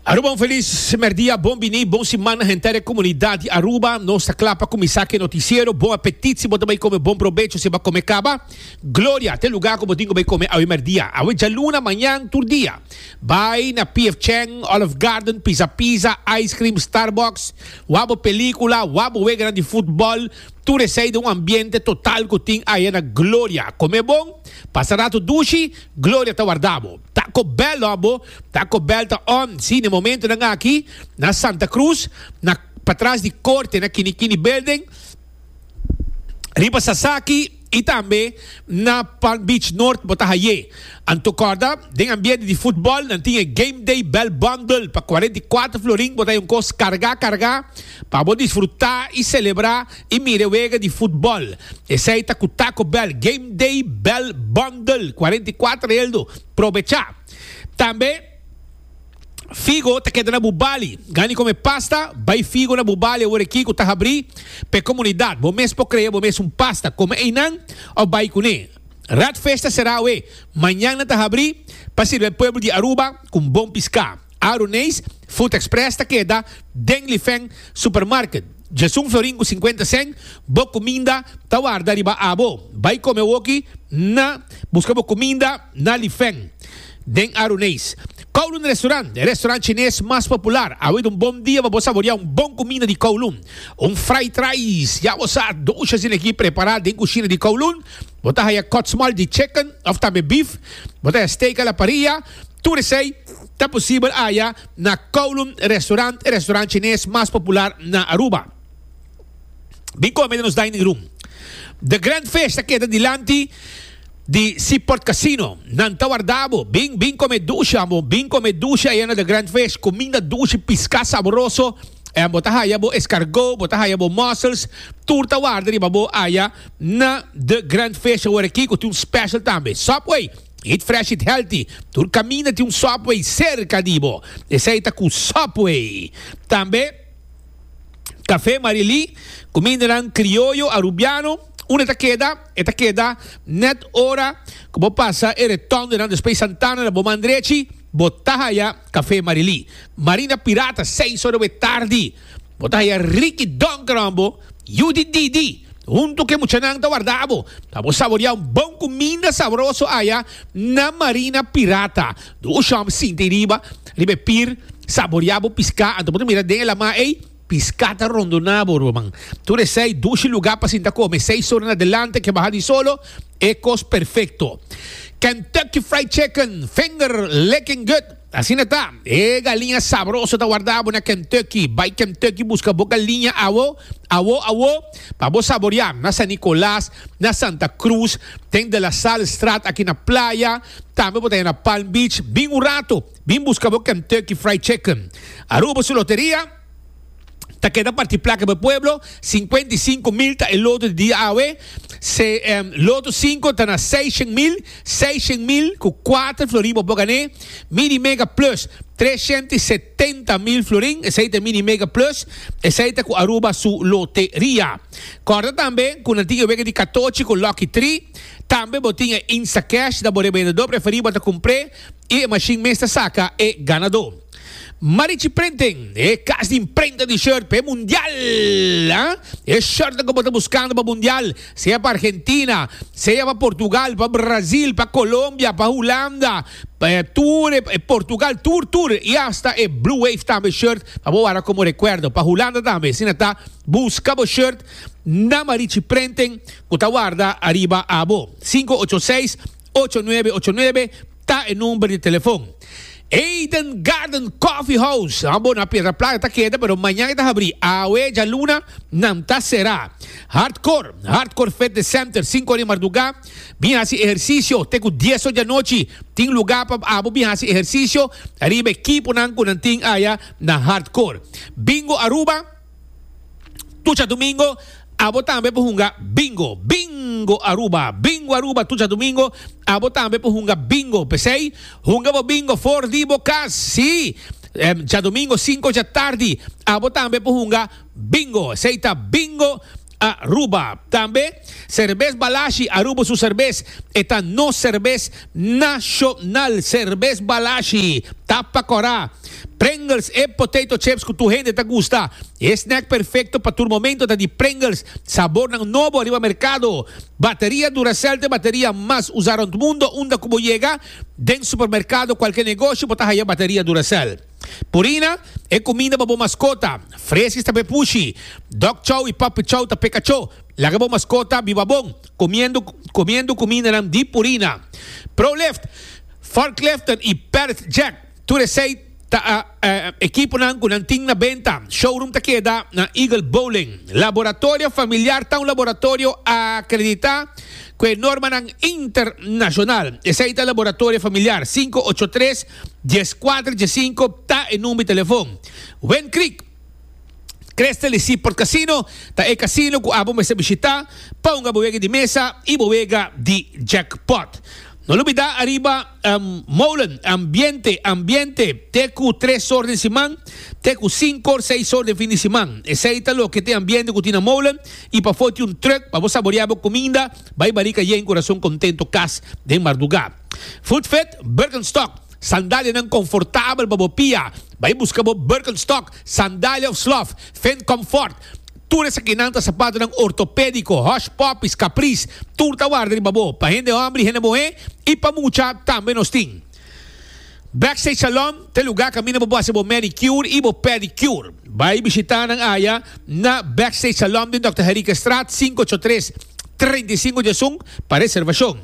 Aruba un feliz merdia, bon bini, bon siman henter e comunidad di Aruba. Nos ta cla pa cuminsa cu e noticiero. Bon apetit si bo ta bay come, bon probecho si e ba come caba. Gloria te lugar cu bo tin cu bay come awe merdia, awe djaluna, mañan, tur dia. Bay na PF Chang, Olive Garden, Pizza Pizza, Ice Cream, Starbucks, wak bo pelicula, wak bo weganan di futbol, tur esey den un ambiente total cu tin aya na Gloria. Come bon, pasa rato dushi, Gloria ta warda bo. Ta ko bèl lo abo, ta ko bèl ta on. Sí, na e momentunan aki, na Santa Cruz, na patras di Corte, na Kini Kini Building, riba Sasaki i tambe na Palm Beach North bo ta haye. Anto kòrda, den ambiente di futbòl nan tin e Game Day Bèl Bundle pa kuarenta i kuater florin, bo ta haye un kos kargá kargá pa bo disfrutá i selebrá I mira e wega di futbòl. Esei ta ku Taco Bell Game Day Bell Bundle, cuarenta y cuatro heldo. Probechá! Tambe Figo ta keda na bu bali. Gani kome pasta? Bai Figo na bu bali awor aki ku ta habrí pa e komunidat. Bo mes por krea bo mes un pasta. Kome einan òf bai kuné. Radfesh ta será awe. Mañana ta habrí pa sirbi e pueblo di Aruba ku un bon piská. Aruneis Food Express ta keda den Lifeng Supermarket. Djesun Florin cu cincuenta cen, Bo cuminda ta warda riba abo. Bay come awoki na Busca bo cuminda na Lifeng den Aruneis. Kowloon Restaurant, e restaurant Chines mas popular. Awe ta un bon dia pa bo saborea un bon cuminda di Kowloon. Un fried rice, ya bo sa, doshas di energia prepara den cushina di Kowloon. Bo ta haya cut small di chicken of tambe beef. Bo ta haya steak a la parrilla. Tur esei ta posibel haya na Kowloon Restaurant, e restaurant chines mas popular na Aruba. Bin kome den nos dining room. The Grand Fish ta keda dilanti di Seaport Casino. Nan ta warda bo. Bin, bin kome dushi, ambo. Bin kome dushi aya na The Grand Fish. Kuminda dushi, piská saboroso. En bo ta haya bo escargot, bo ta haya bo mussels. Tur ta warda riba bo aya na The Grand Fish aworaki, ku tin un special tambe. Subway. Eat Fresh Eat Healthy, tur caminda tin un Subway cerca di bo, esey ta cu Subway. Tambe Café Marilí, cumindanan Criollo Arubiano, unda ta keda? E ta keda net ora cu bo pasa e retondonan despues Santana na bo man drechi, bo ta haya Café Marilí. Marina Pirata, seis ora we tardi. Bo ta haya Ricky Donkeron bo yu di Didi huntu ku e muchanan ta warda bo pa bo saborea un bon kuminda sabroso aya na Marina Pirata. Do un shòm sinti riba riba e pir, saborea bo piská anto bo ta mira den e lamá ei, piská ta rondoná bo ruman. Tur esei dushi lugá pa sinta kome, seis ora na delante ke baha di solo, e kos perfekto. Kentucky Fried Chicken, finger licking good! Asina ta, e galiña sabroso ta warda abo na Kentucky. Bai Kentucky buska bo galiña awo, awo, awo, pa bo saboria. Na San Nicolas, na Santa Cruz, den De La Salle Straat aki na Playa, tambe bo ta ya na Palm Beach. Bin un rato, bin buska bo Kentucky Fried Chicken. Aruba su loteria? ta keda parti plaka pa e pueblo, sinkuenta i sinku mil ta e loto di dia awe, se loto sinku ta na seis shen mil, seis shen mil ku kuater florin bo por gan'é, Mini Mega Plus treshenta i setenta mil florin, esei ta e Mini Mega Plus, esei ta ku Aruba su loteria. Kòrda tambe ku nan tin e wega di katochi ku Lucky Tri, tambe bo tin e Instacash, da bo riba yendo dor preferí bo ta kumpr'é i e mashin mes ta saka e ganadó. Marichi Printing, e kas di imprenta di short p'e mundial. E shortnan ku bo ta buskando pa mundial, sea pa Argentina, sea pa Portugal, pa Brazil, pa Colombia, pa Hulanda, tur e Portugal tur tur i hasta e Blue Wave tambe short pa bo wara komo rekuerdo pa Hulanda tambe. Asina ta, buska bo short na Marichi Printing ku ta warda ariba abo. Sinku ocho seis, ocho nuebe ocho nuebe. Ta e number di telefon. Eden Garden Coffee House, Abo na Piedra Plata ta keda, pero mañan e ta habrí. Awe djaluna nan ta será. Hardcore, Hardcore Fitness Center, sinku ora di mardugá bin hasi ehersisio te ku dies ora di anochi. Tin lugá pa abo bin hasi ehersisio ariba e kiponan ku nan tin aya na Hardcore. Bingo Aruba. tucha domingo abo tambe por hunga Bingo, Bingo Aruba, Bingo Aruba tucha domingo abo tambe por hunga Bingo. P'esei hunga bo Bingo for di bo cas, sí! Djadomingo sinku dja tardi abo tambe por hunga Bingo. Esei ta Bingo a ruba. Tambe Serbes Balashi a ruba su serbes. E ta nos serbes nashonal. Serbes Balashi ta pa kora. Pringles e potato chips ku tur hende ta gusta. E snack perfekto pa tur momento ta di Pringles. Sabornan nobo riba merkado. Bateria Duracell ta e bateria mas usa rònt mundo. Unda ku bo yega, den supermerkado, kualke negoshi, bo ta haya bateria Duracell. Purina, E kuminda pa bo maskota. Freskis ta be pushi. Dog chow i puppy chow ta peka cho. Laga bo maskota biba bon, kumiendo kumiendo kumindanan di Purina. Proleft, Forkleften i Perdth Jack, tur esei ta ekiponan ku nan tin na benta. Showroom ta keda na Eagle Bowling. Laboratorio Familiar ta un laboratorio akreditá ku e normanan internashonal. Esei ta Laboratorio Familiar sinku ocho tres Dies cuater dies cinco ta e number telefon. Wind Creek Crystal y Seaport Casino ta e casino cu abo mester bishita pa hunga bo wega di mesa y bo wega di jackpot. No lubida ariba molen ambiente ambiente te cu tres or den siman te cu cinco or seis or den fin di siman. Esey ta loke t'e ambiente cu tin na molen y pafo tin un truck pa bo saborea bo cuminda, bay barica yen cu rason contento cas den marduga. Voetvet, Birkenstock, Sandalianan konfortabel pa bo pia. Bai buska bo Birkenstock, Sandalia of Slof, Fend Comfort. Tur esakinan ta sapatonan ortopédiko, Hush Puppies, Caprice. Tur ta warda riba bo, pa hende hòmber i hende muhé, i pa mucha tambe nos tin. Backstage Salon ta e lugá kaminda bo por hasi bo manicure i bo pedicure. Bai bishitá nan aya na Backstage Salon den Dòkter Herica Straat sinku ocho tres, treinta i sinku di asun pa reservashon.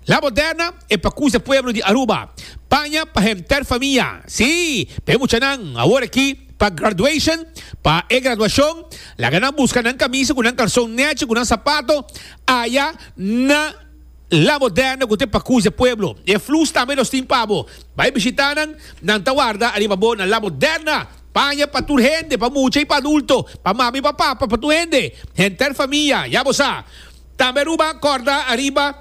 La Moderna e pa kusa pueblo di Aruba. Paña pa henter famia. Sí, pa e muchanan, awor aki, pa graduation, pa e graduashon, laga nan buska nan kamisa ku nan kalson nechi ku nan sapato aya na La Moderna ku ta e pa kusa e pueblo. E flus tambe nos tin pa bo. Bai bishita nan, nan ta warda ariba bo na La Moderna. Paña pa tur hende, pa mucha i pa adulto, pa mama i pa papa, pa tur hende. Henter famia, ya bo sa. Tambe Aruba a corda ariba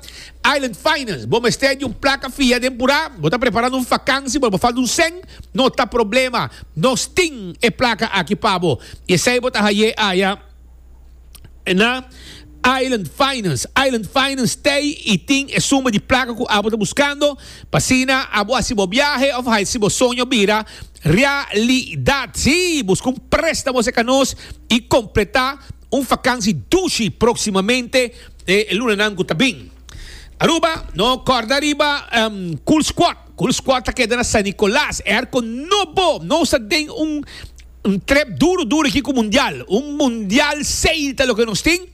Island Finance. Bo mester di un placa fia den pura? Bo ta preparando un vakansi pero bo falta un cen? No ta problema, nos tin e placa aki pa bo. I esei bo ta haye aya na Island Finance. Island Finance tei i tin e suma di placa cu abo ta buscando, pa asina abo haci bo biahe of haci bo soño bira realidad. Sí, busca un prestamo seca nos i completa. Un fakansi dushi proksimamente e lunanan ku ta bin. Aruba, no kòrda riba Cool Squad. Cool Squad ta keda na San Nikolas. Airco no bo, nos ta den un trep duru duru aki ku mundial. Un mundial seil ta loke nos tin.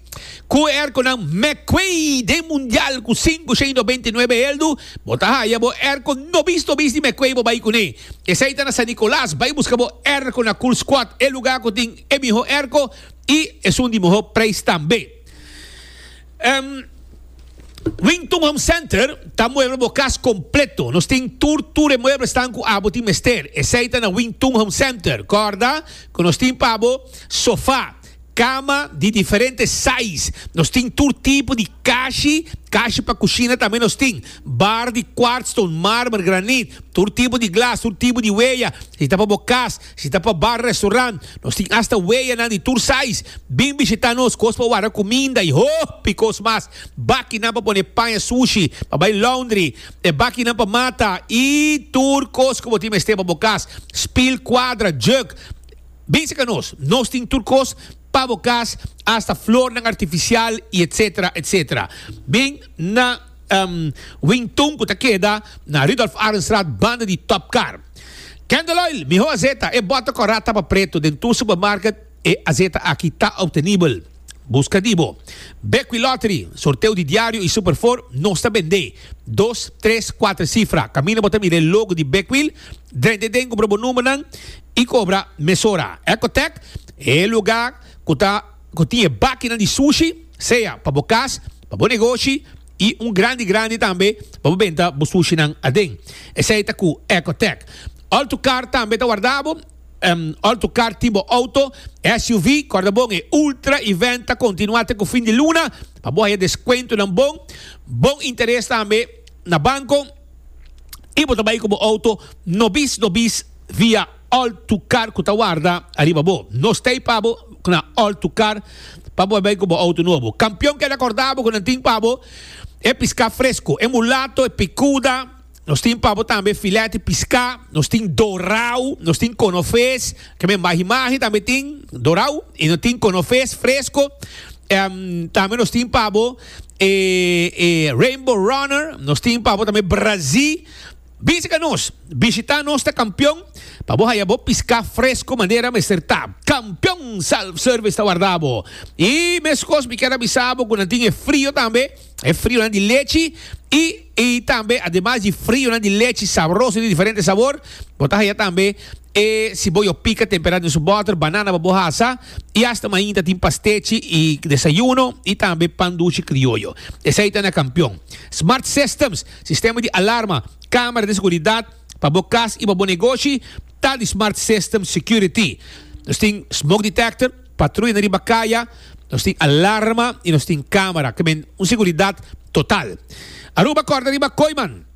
Ku e airconan McQuay den mundial ku sinku shen do beinti nuebe eldu, bo ta haya bo airco nobis nobis di McQuay bo bai kuné. Esei ta na San Nikolas. Bai buska bo airco na Cool Squad, e lugar ku tin e miho erko i esun di miho preis tambe. Wington Home Center ta muebel bo kas kompleto. Nos tin tur tur e mueblesnan ku abo tin mester. Esei ta na Wington Home Center. Kòrda ku nos tin pa bo sofá, kama di diferente sais. Nos tin tur tipo di kashi, kashi pa kushina tambe nos tin. Bar di kwartstone, marmer, granit, tur tipo di glas, tur tipo di weya. Si ta pa bo kas. Si ta pa bar, restaurant, nos tin asta weanan di tur sais. Bin bishita nos, kos pa wara kuminda i hopi kos mas. Bakinan pa pone pan e sushi, pa bai laundry, e bakinan pa mata i tur kos ku bo tin mester pa bo kas. Spil, kuadra, jug. Bin serka nos, nos tin tur kos pa bo kas, asta flornan artifisial i etsetera, etsetera. Bin na Wing Tun ku ta keda na Rudolf Arendstraat banda di Top Car. Candeloil, Miho azeta, e bota cu a ra tapa preto den tur supermarket, e azeta aki ta obtenibel. Busca di bo. Bequi Lottery, sorteo di diario y Super Four, nos ta bende. Dos, tres, cuater cifra. Camina bo ta mira e logo di Bequil, drende den cobra bo numbernan y cobra mesora. Ecotec, e luga cu ta cu tin e bakinan di sushi, sea pa bo cas, pa bo negoshi, y un grandi grandi tambe pa bo benta bo sushi nan aden. Esey ta cu Ecotec. All to car tambe ta warda bo. Um, all to car tin bo auto, SUV, corda bon e ultra event ta continua te cu fin di luna pa bo haya descuentonan bon, bon interes tambe na banco y bo ta bay cu bo auto nobis nobis via All tu kar ku ta warda ariba bo. Nos ta ei pa bo na All tu Kar pa bo bai ku bo outo nobo. Kampion keda kòrda bo ku nan tin pa bo e piská fresko, e mulato, e pikuda, nos tin pa bo tambe filèt di piská, nos tin dorau, nos tin konofes, tambe mahi mahi tambe tin dorau i nos tin konofes fresko. Em tambe nos tin pa bo e e Rainbow Runner, nos tin pa bo tambe brazí. Bisi ka nos, bishita nos ta kampion pa bo haya bo piská fresku manera mester ta. Kampion Self Service ta warda bo. I meskos mi kier a bisa bo ku nan tin e frio tambe, e frionan di lechi i i tambe ademas di frionan di lechi sabroso di diferente sabor, bo ta haya tambe e siboyo pika temperá den su bòter, banana pa bo hasa i asta mainta ta tin pastechi i desayuno i tambe pan dushi krioyo. Esei ta na Kampion. Smart Systems. Sistema di alarma, camera di seguridad pa bo cas y pa bo negoshi ta di Smart System Security. Nos tin smoke detector, patruya na riba caya, nos tin alarma y nos tin camera, ca men un seguridad total. Aruba corda riba Coiman.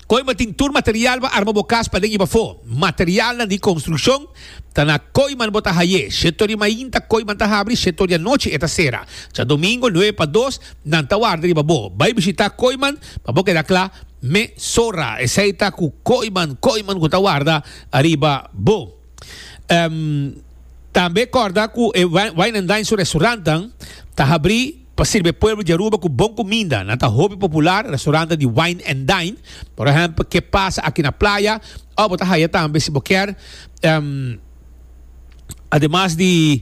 Coiman tin tur material pa arma bo cas paden y pafo, materialnan di construccion, Ta na koiman bo ta haye. Shetor di main ta koiman ta habri, shetor di anochi e ta sera. Djadomingo nuebe pa dos nan ta warda riba bo. Bai bishita koiman pa bo keda kla, Me sora esei ta ku koiman, koiman ku ta warda ariba bo. Tambe korda ku e wine and dine su restaurantnan ta habri. Pa sirbi e pueblo di Aruba cu bon cuminda, nan ta hopi popular restaurante di wine and dine, por ehempel Ke Pasa Aki na Playa, of bo ta haya tambe si bo kier. Ademas di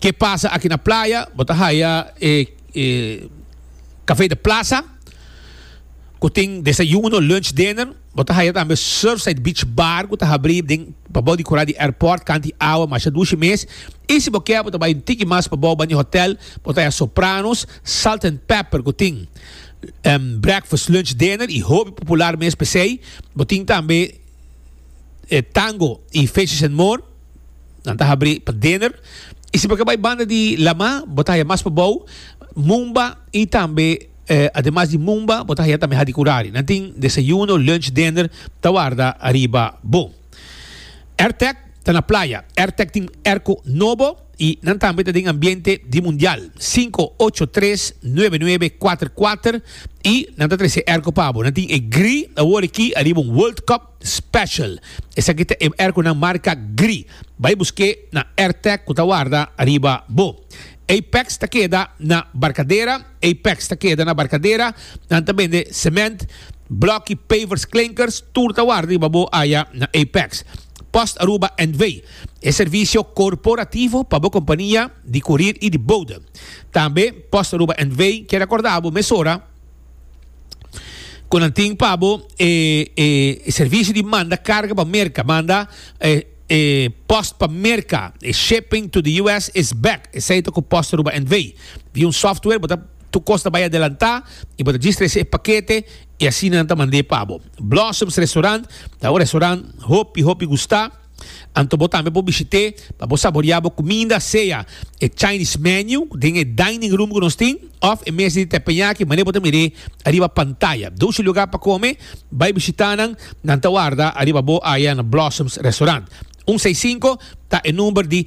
Ke Pasa Aki na Playa, bo ta haya e Cafe de Plaza, cu tin desayuno, lunch, dinner. Bo ta haya tambe Surfside Beach Bar cu ta habri den pabou di cora di airport canti awa masha dushi mes. Y si bo kier bo ta bay un tiki mas pabou bani hotel bo ta haya Sopranos, Salt and Pepper cu tin breakfast, lunch, dinner y hopi popular mes pesey. Bo tin tambe Tango y Fishes and More nan ta habri pa dinner. Y si bo kier bay banda di Lamar bo ta haya mas pabou Mumba y tambe. Ademas di mumba, bo ta haya tambe hadikurari. Nan tin desayuno, lunch, dinner ta warda ariba bo. Airtec ta na playa. Airtec tin airco nobo y nan tambe ta den ambiente di mundial. Cinco ocho tres nuebe nuebe cuater cuater y nan ta trece airco pa bo. Nan tin e gri awor aki ariba un World Cup. Special. Esaki ta e air cu nan marca gri. Bay busque na Airtech cu ta warda ariba bo. Apex ta keda na Barcadera, Apex ta keda na Barcadera. Nan ta bende cement, blocky, pavers, klinkers, tur ta warda riba bo aya na Apex. Post Aruba NV. E servicio corporativo pa bo compania di curir y di bode. Tambe Post Aruba NV keda corda bo mesora. cu nan tin pa bo e servicio di manda carga pa Merca, manda e post pa Merca, e shipping to the US is back, esey ta cu post Aruba NV. Via un software bo ta tu cos ta bay adelanta y bo ta registra ese e paquete y asina nan ta mand'e pa bo. Blossoms restaurant ta un restaurant hopi hopi gusta. Anto bo tambe por bishit'é pa bo saboreá bo kuminda, sea e Chinese menu den e dining room ku nos tin òf e mes di tepenyaki manera bo ta mir'é ariba pantaya. Dushi lugá pa kome bai bishitá nan, nan ta warda ariba bo aya na Blossoms Restaurant. Un sei sinku ta e number di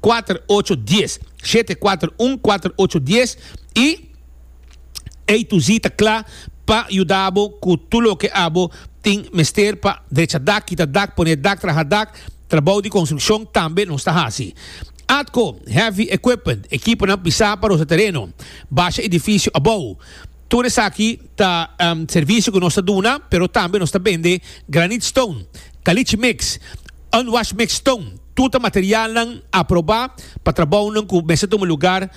kuater ocho dies, shete kuater un kuater ocho dies, i ei tu zi ta kla pa yuda bo ku tur loke abo tin mester pa drecha dak, kita dak, pone dak, traha dak, trabou di konstrukshon tambe nos ta hasi. Atko, heavy equipment, ekiponan pisá pa rosa tereno, basha edifisio abou. Tur esaki ta servisio ku nos ta duna, pero tambe nos ta bende granite stone, kalichi mix, unwashed mixed stone, tur ta materialnan aprobá pa trabounan ku mester tuma lugar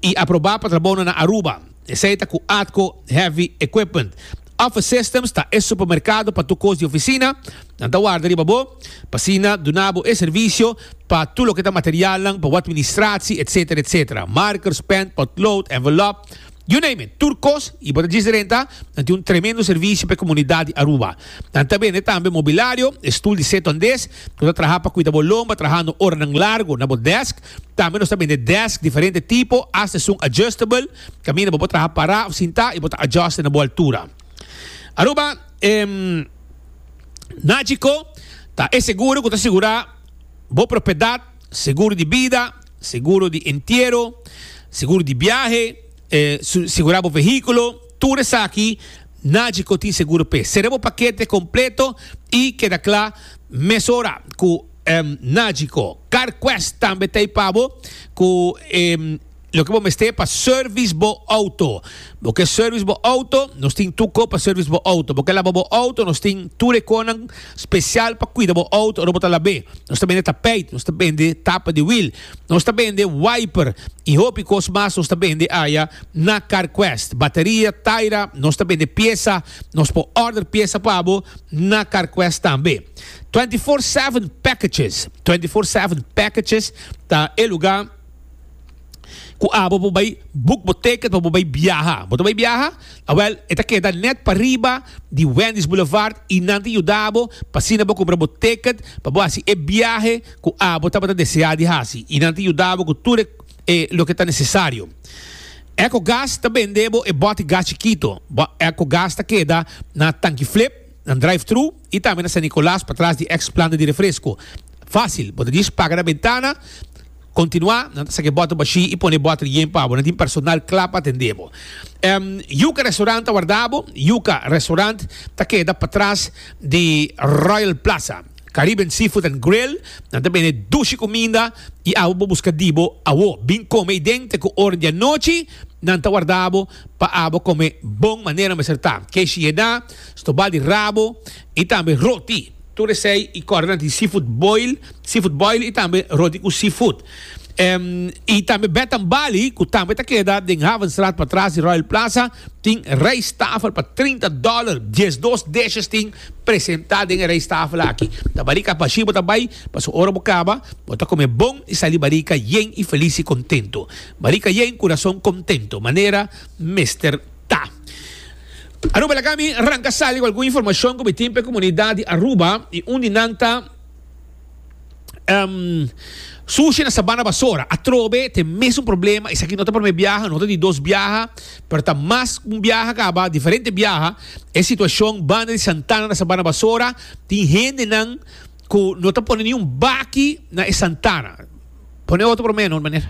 i aprobá pa trabounan na Aruba. Esei ta ku Atco Heavy Equipment. Office Systems ta e supermerkado pa tur kos di ofisina, nan ta warda riba bo, pa asina duna bo e servisio pa tur loke ta materialnan pa bo atministratie, etsetera, etsetera, markers, pen, potlood, envelop. You name it, tur kos y bo ta djis renta, nan tin un tremendo servicio pa e comunidad di Aruba. Nan ta bende tambe mobilario, e stoel di seton des, nos ta traha pa cuida bo lomba trahando oranan largo na bo desk. Tambe nos ta bende desk diferente tipo, hasta esun adjustable, caminda bo por traha para of sinta y bo ta adjuste na bo altura. Aruba em Nagico ta e seguro cu ta sigura bo propiedad, seguro di bida, Seguro di entiero, seguro di biahe, sigurá bo vehíkulo, tur esaki nadje ko tin seguro p'e. Sera bo pakete kompleto i keda kla mesora ku nadje ko. CarQuest tambe ta ei pa bo ku loke bo mester pa sèrvis bo outo. Bo ke service bo auto, nos tin tur ko pa service bo auto. Bo ke laba bo auto, nos tin tur e konan special pa cuida bo auto ora bo ta lab'e. Nos ta bende tapijt, nos ta bende tapa di wiel, nos ta bende wiper y hopi kos mas nos ta bende aya na Carquest. Bateria, taira, nos ta bende piesa, nos por order piesa pa bo na Carquest tambe. Twenty four seven packages, Twenty four seven packages ta e lugar. Cu abo bo bay boek bo ticket pa bo bay biaha. Bo ta bay biaha? Awel, e ta keda net pariba di Wendy's Boulevard y nan ta yuda bo pa asina bo cumpra bo ticket pa bo haci e biahe cu abo tabata desea di haci y nan ta yuda bo cu tur e e loke ta necesario. Echo Gas ta bende bo e bote gas chikito. Echo Gas ta keda na Tanki Flip, na drive-thru, y tambe na San Nicolas patras di ex planta di refresco. Facil, bo ta dish paga na bentana, continua nan ta sake bottle bashi y pone bottle yen pa bo. Nan tin personal cla pa atende bo. Em, Yuca Restaurant ta warda bo. Yuca Restaurant ta keda patras di Royal Plaza. Caribbean Seafood and Grill, nan ta bende dushi cuminda y awo bo busca di bo awo. Bin come ey den te cu ora di anochi, nan ta warda bo pa abo come bon manera mester ta. Keshie na. Stobal di rabo y tambe roti. Tur esey y corda di seafood boil, seafood boil y tambe roti cu seafood. Y tambe Bed and Bali cu tambe ta keda den Havenstraat patras di Royal Plaza tin rijsttafel pa trinta dollar. Diesdos dishes tin presenta den e rijsttafel aki. Ta barika pashi bo ta bay paso ora bo caba bo ta come bon y sali barika yen y feliz y contento. Barika yen, curason contento manera mester ta. Aruba Lagami ranca sali cu algun informacion cu mi tin p'e comunidad di Aruba y un di nan ta sushi na Sabana Basora. Atrobe ta e mesun problema. Esaki no ta prome biaha, no ta di dos biaha, pero ta mas cu un biaha caba, diferente biaha. E situacion banda di Santana na Sabana Basora tin hendenan cu no ta pone niun baki na e Santana. Pone otro prome no manera.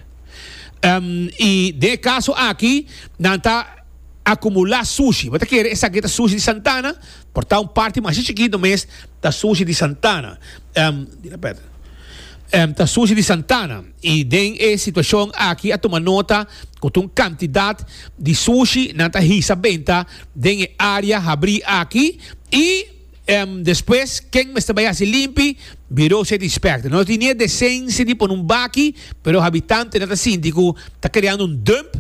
Y den e caso aki nan ta. akumulá sushi. Bo ta kere esaki ta sushi di Santana? Por ta un parti masha chikitu mes ta sushi di Santana. Ta sushi di Santana. I den e situashon aki a tuma nota ku ta un kantidat di sushi nan ta hisa benta den e área habrí aki i despues ken mester bai hasi limpi? Biro City Inspector. Nos tin niña desensia di pone un baki, pero habitantenan ta sinti ku ta kreando un dump.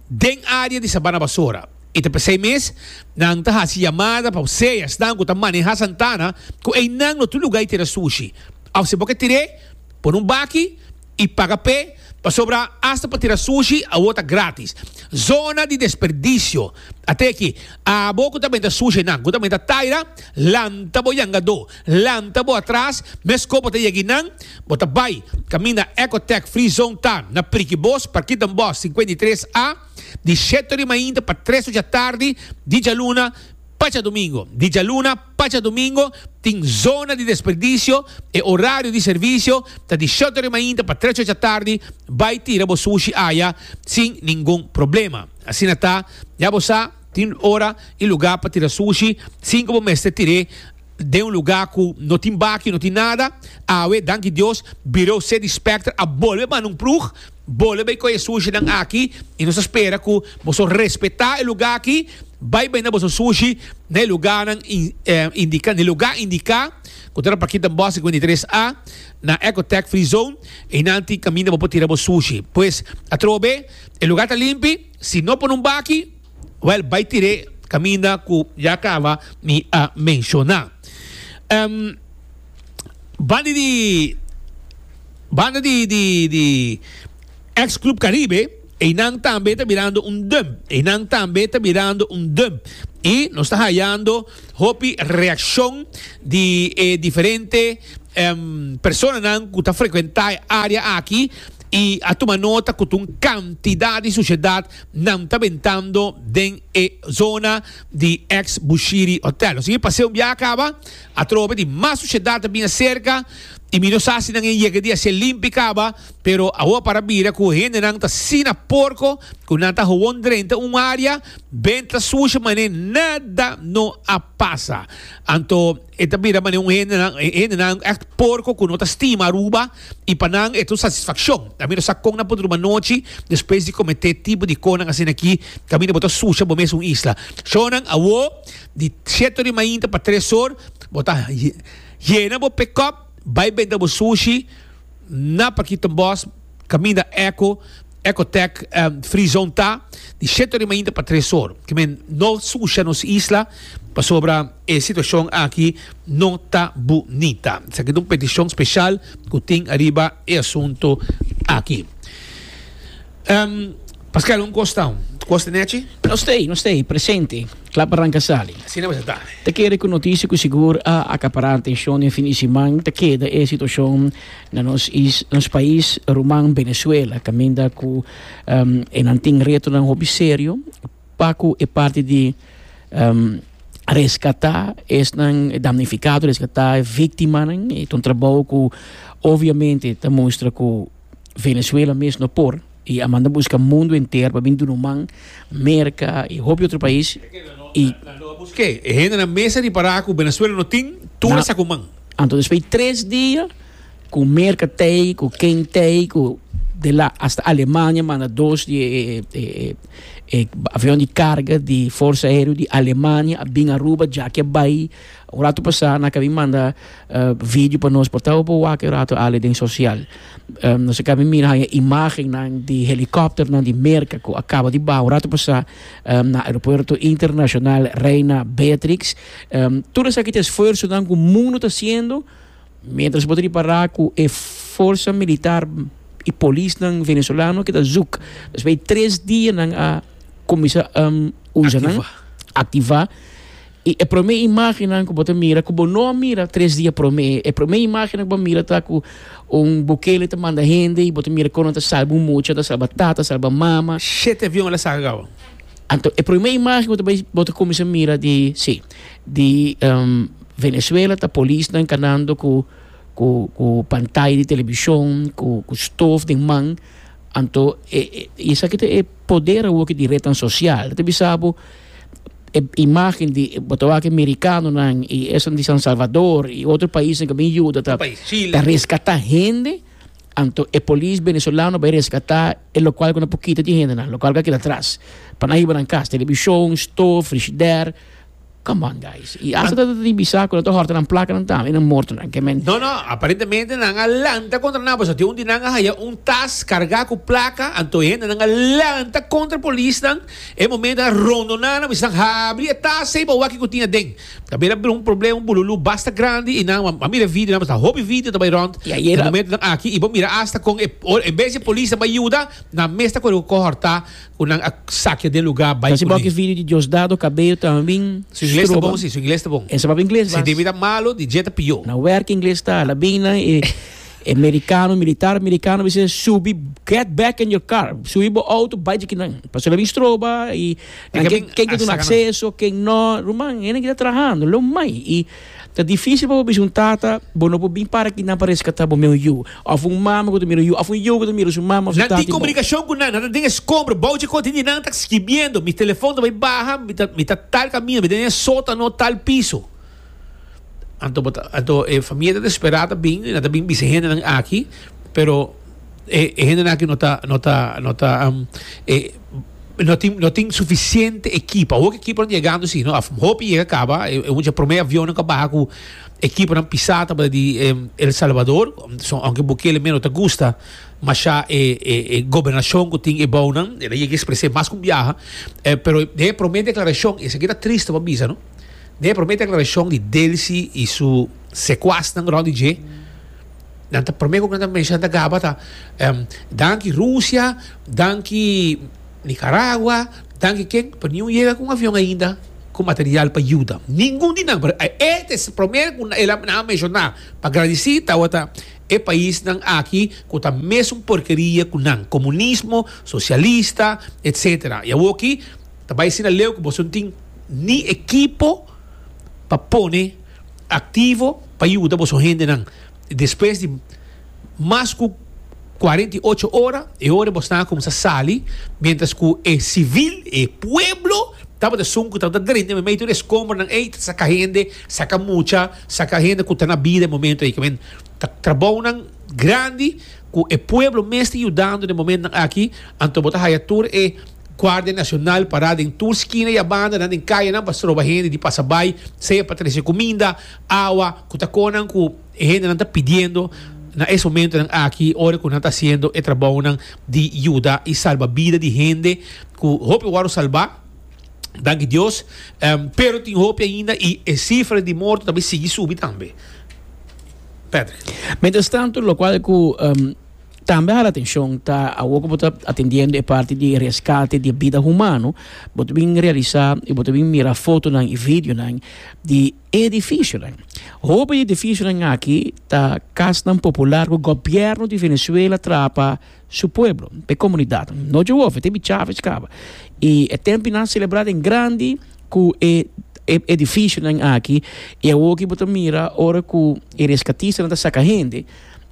den área di Sabana Basora. I ta p'esei mes nan ta hasi yamada pa sea esnan ku ta maneha Santana ku einan lo tur lugá e tira sushi. Òf si bo ke tir'é, pone un baki i paga p'é, pasobra asta pa tira sushi awor ta grátis. Zona di desperdisio a ta e aki. Abo ku ta benta sushi nan ku ta benta taira, lanta bo yangadó. Lanta bo atras, mes kobo ta yegi nan, bo ta bai, kaminda Ecotech Free Zone ta na Prikibos, Parkit den Bosch sinkwentu i tres A, di sheto di mainta pa tres ocha tardi di djaluna pa djadumingo. Di djaluna pa djadumingo tin zona di desperdisio, e orario di servisio ta di sheto di mainta pa tres ocha tardi, bai tira bo sushi aya sin ningun problema. Asina ta, ya bo sa. Tin ora i lugá pa tira sushi sin ku bo mester tir'é den un lugá ku no tin bakio, no tin nada. Awe, danki Dios, Birou City Specter a bolbe manda un prug, Bolbe bai koi e sushinan aki i nos ta spera ku boso respetá e lugá aki. Bai benda boso sushi na e lugánan indiká, na e lugá indiká ku ta na Plaquita Bos sekuenta i tres A, na Ecotech Free Zone. Einan tin kaminda bo por tira bo sushi. Pues, atrobe, e lugá ta limpi. Si no pone un baki, wèl bai tir'é kaminda ku ya kaba mi a menshoná. Banda di banda di di di ex Club Caribe, einan tambe ta birando un dump, einan tambe ta birando un dump i nos ta hayando hopi reakshon di e diferente personanan ku ta frekuentá e área aki. y a tuma nota cu ta un cantidad di suciedad nan ta bentando den e zona di ex Bushiri Hotel. Nos tin e paseo bia a caba, atrobe di mas suciedad a bin acerca y mi no sa si nan a yega di haci'e limpi caba, pero awor a para bira cu hendenan ta asina porco cu nan ta hawon drenta un area benta sucia mane nada no a pasa. Anto. E ta mira manera un hendenan, e hendenan èkt porko ku no ta stima Aruba i pa nan e ta un satisfakshon. Ta mira sa kon nan por druma anochi despues di kometé tipo di kosnan asina aki, kaminda bo ta susha bo mes un isla. Shornan, Awo, di shete ori mainta pa tres or, bo ta yena bo pekòp, bai benta bo sushi na Pakitombos, Caminda Eco, Ecotec, en Frizon ta di shete ora di mainta pa tres or. Ki men no sucia nos isla pasobra e situacion aki no ta bunita. Esaki ta un peticion special cu tin ariba e asunto aki. Pasquel, un cos ta, cos ta nechi? No stay, no stay, presente, cla pa ranca sali. Asina mester ta. Ta kere cu noticia cu sigur a acapará atencion den fin di siman ta keda e situacion Na nos is, nos pais ruman Venezuela, caminda cu enan tin retonan hopi serio pa cu e parti di rescata esnan damnificado, rescata e victimanan, ta un trabou cu obviamente ta mustra cu Venezuela mes no por. I a manda buska mundu enter pa bin dun'u man, Merka i hopi otro pais, i. Ke e hendenan mes a ripará ku Benezuela no tin tur a sa ku man. Anto despues di tres dia ku Merka t'ei, ku Ken t'ei, ku de la hasta Alemania manda dos di e avion di karga di Forsa Aereo di Alemania a bin Aruba, djaki a bai. Un ratu pasá nan a ka bin manda video pa nos, por tabapo wak e ratu, Ale, den sosial. Um, nos a cami mira haña imagennan di helicopternan di Merca cu a caba di baha un rato pasá um, na aeropuerto internacional Reina Beatrix. Um, tur esaki ta esfuerzonan cu mundo ta haciendo mientras bo ta repará cu e forza militar y polisnan venezolano que ta zoek. Dus bay tres dianan a comienza um, usanan, Activa. activá. I e promé imágennan ku bo ta mira, ku bo no a mira tres dia promé, e promé imágennan ku bo a mira ta ku un Bukele ta manda hende i bo ta mira kon nan ta salba un mucha, ta salba tata, ta salba mama. Shete avion el a saka kabaw. Anto e promé imágen ku bo ta kuminsá mira di si, di Venezuela ta polisnan kanando ku ku pantaya di televishon, ku ku stof den man. Anto e esaki ta e poder awor ki di retnan sosial ta bisa bo. e imagen di bo ta wak aki merikanonan i esnan di San Salvador i otro paisnan ku a bin yuda ta ta reskatá hende, anto e polis venezolano bai reskatá e lokual ku nan por kita di hendenan, lokual ku a keda atras, pa nan hiba nan kas, televishon, stof, frishider, come on guys, i asta ta di bisa ku nan ta hòrta nan plakanan tambe i nan mortonan, ke men. No, no, aparentemente nan a lanta kontra nan, pasobra tin un di nan a haya un tas kargá ku plaka, anto e hendenan a lanta kontra polisnan. E momento a rondoná nan mester habri e tas ceiba wak cu tin aden. Ta bira bira un problema, un bululú basta grandi y nan a mira video, nan basta hopi video ta bay rond den momentonan aki y bo mira hasta con e en bes di polis ta bay yuda nan mes ta cu horta cu nan a sakia den lugar bay cu nan. video di Diosdado Cabello tambien Su ingles ta bon si, su ingles ta bon. Esababa ingles bas. Si David ta malo, di Dje ta pió. Na werk ingles ta hala bay nan e. E merikano, militar merikano bis'e, Subi, get back in your car, subi bo outo, bai djiki nan, pasobra nan bin stroba, i nan ke ken ta duna akseso, ken nò, ruman, hende ta trahando, lo mai, i ta difísil pa bo bisa un tata, bo no por bin para aki nan pa reskatá bo, mi un yu, òf un mama ku ta mira un yu, òf un yu ku ta mira su mama òf su tata. Nan tin komunikashon ku nan, nan ta den e skombro, bou dje kontin di nan, ta skibiendo, mi telefòn ta bai baha, mi ta, mi ta tal kaminda, mi ta den e sotano, tal piso. Anto bo ta anto e famia ta desperá ta bin i nan ta bin bisa e hendenan aki pero e e hendenan aki no ta no ta no ta e no tin no tin sufisiente ekipo awor ki ekiponan ta yegando si no a hopi yega kaba e e mucha prome avionnan ku a baha ku ekiponan pisá tabata di El Salvador so aunke Bukele mero no ta gusta masha e e e gobernashon ku tin ebounan el a yega espres'é mas ku un biaha e pero den e prome deklarashon esaki ta triste pa bisa no. Na e promé deklarashon di Delcy i su sekuasnan rònt di dje, nan ta promé ku nan ta menshoná ta gaba ta, Danki Rusia, danki Nikaragua, danki ken, pero niun yega ku un avion ainda ku material pa yuda. Ningun di nan, pero e ta e promé ku nan a menshoná pa gradisí tabata e paisnan aki ku ta mesun porkeria ku nan, komunismo, sosialista, etsetera. I awor aki. Ta bai asina leu cu boso no tin ni ekipo pa pone activo pa yuda boso hendenan. Despues di mas cu cuarenta y ocho ora e ora bo sta a cuminsa sali, mientras cu e civil, e pueblo, tabata sun cu tabata drenta e medio di e escombranan ey ta saca hende, saca mucha, saca hende cu ta na bida e momento ey. Kimen ta trabounan grandi cu e pueblo mes ta yudando den e momentonan aki, anto bo ta haya tur e. Guardia Nacional pará den tur skina i abandanan den kayanan pa stroba hende di pasa bai, sea pa trese cuminda, awa, cu ta conan cu e hendenan ta pidiendo na e momentonan aki ora cu nan ta haciendo e trabounan di yuda i salba bida di hende cu hopi wòrdu salbá, danki Dios, pero tin hopi ainda i e cifra di morto ta bai sigui subi tambe. Patrick. Mientras tanto, locual cu. Tambe hala atenshon ta awor ku bo ta atendiendo e parti di reskate di bida humano, bo ta bin realisá i bo ta bin mira fotonan i videonan di edifisionan. Hopi di edifisionan aki ta kasnan popular ku gobièrnu di Venezuela traha pa su pueblo, pa e komunidat. No dje wòf, e ta bichave skaba. I e tempinan selebrá den grandi ku e e edifisionan aki. I awor ki bo ta mira ora ku e reskatistan ta saka hende.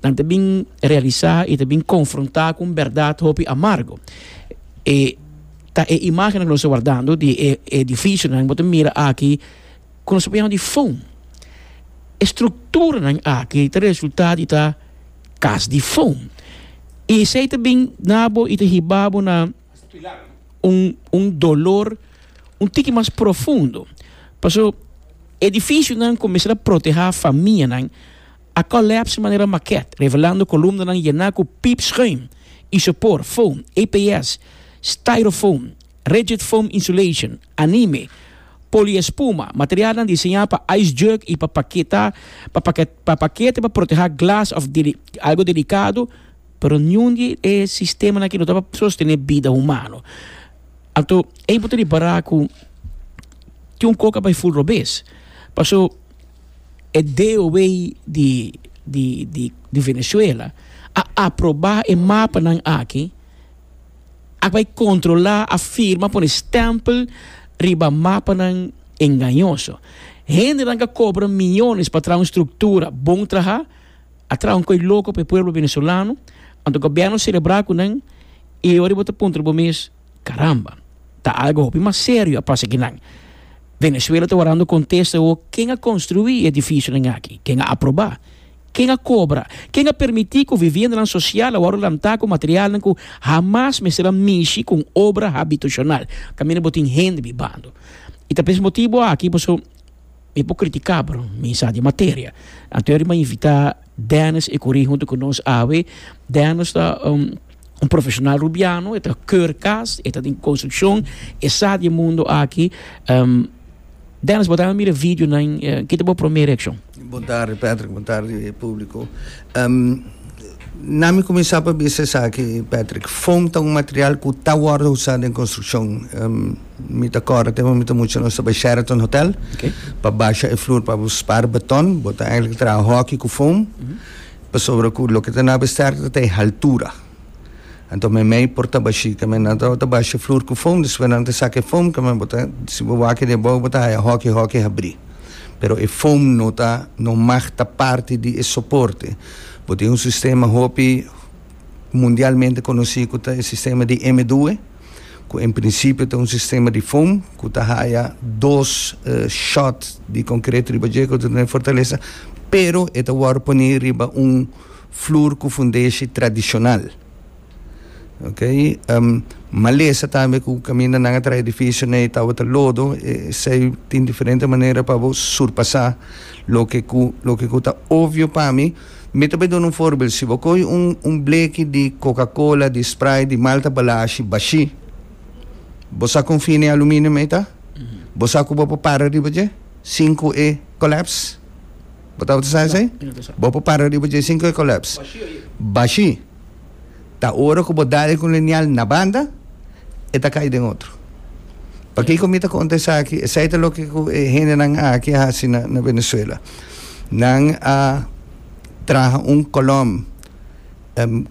Nan ta bin realisá i ta bin konfrontá ku un bèrdat hopi amargu. E ta e imágennan ku nos ta wardando di e edifisionan ku bo ta mira aki ku nos ta poniendo di fon. E strukturanan aki ta resultá di ta kas di fon. I esei ta bin na bo i ta hiba bo na un un dolor un tiki mas profundo. Paso, edifisionan ku mester a protehá famianan. A collapse manera maquette, revelando columnanan yena cu piepschuim, isopor, foam, EPS, styrofoam, rigid foam insulation, anime, poliespuma, materialnan diseña pa ice jug y pa paketa pa pakete pa proteha glas of algo delicado, pero niun di e sistema aki no tabata sostene bida humano. Anto ey bo ta ribara cu tin un coca bay full robes, paso. e DOW di di di di Venezuela a aproba e mapanan aki, a bai kontrola, a firma, a pone stempel riba mapanan engañoso. Hendenan ka kobra miyones pa traha un struktura bon traha, a traha un koi loko pa e pueblo venezolano, anto gobierno selebrá ku nan i ora bo ta puntra bo mes, Caramba! Ta algo hopi mas serio a pasa aki nan. Venezuela ta worando contesta ho ken a construi e edificionan aki? Ken a aproba? Ken a cobra? Ken a permiti cu viviendanan social a worde lanta cu materialnan cu hamas mester a mishi cu un obra habitacional? Ta mira bo tin hende bibando. Y ta pa es motibo aki pasobra. Mi por critica pero mi sa di materia. Anto e riba invita Dennis e curi hunto cu nos awe. Dennis ta un profesional rubiano, e ta keur cas, e ta den construccion, e sa di e mundo aki. Dennis, bo ta mira videonan, ki ta bo prome reaccion? Bon tardi Patrick, bon tardi publico. Na mi cuminsa pa bisa esaki Patrick, foam ta un material cu ta wordo usa den construccion. Mi ta corda tem mi ta mucha nos ta bay Sheraton hotel pa basha e floor pa bo spar beton, bo ta eigenlijk traha hockey cu foam pasobra cu loke ta na besterta ta e haltura. Anto meimei por ta bashi kemen nan ta wata basha e floor cu foam despues nan ta saka e foam kemen bo ta si bo wak edi abao bo ta haya hockey hockey habri. pero e foam no ta no mag ta parti di e soporte. Bo tin un sistema hopi mundialmente konosí ku ta e sistema di M due ku en prinsipio ta un sistema di foam ku ta haya dos eh, shot di konkret riba dje ku ta tene fortalesa pero e ta wòrdu poní riba un flur ku fundeshi tradishonal. Ok, malesa tambe cu caminda nan a trae edificio ney tabata lodo, esey tin diferente manera pa bo surpasa loke cu loke cu ta obvio pa mi. Mi ta bay duna un voorbeeld, si bo coge un un bleki di coca cola, di sprite, di malta balashi bashi, bo sa con fina e aluminium ey ta? Bo sa cu bo por para riba dje sin cu e collapse? Bo tabata sa esey? Bo por para riba dje sin cu e collapse? Bashi. Ta ora ku bo da e kolonial na banda, e ta kai den otro. Pakiko mi ta konta esaki? Esei ta loke ku e hendenan aki a hasi na Venezuela. Nan a traha un kolom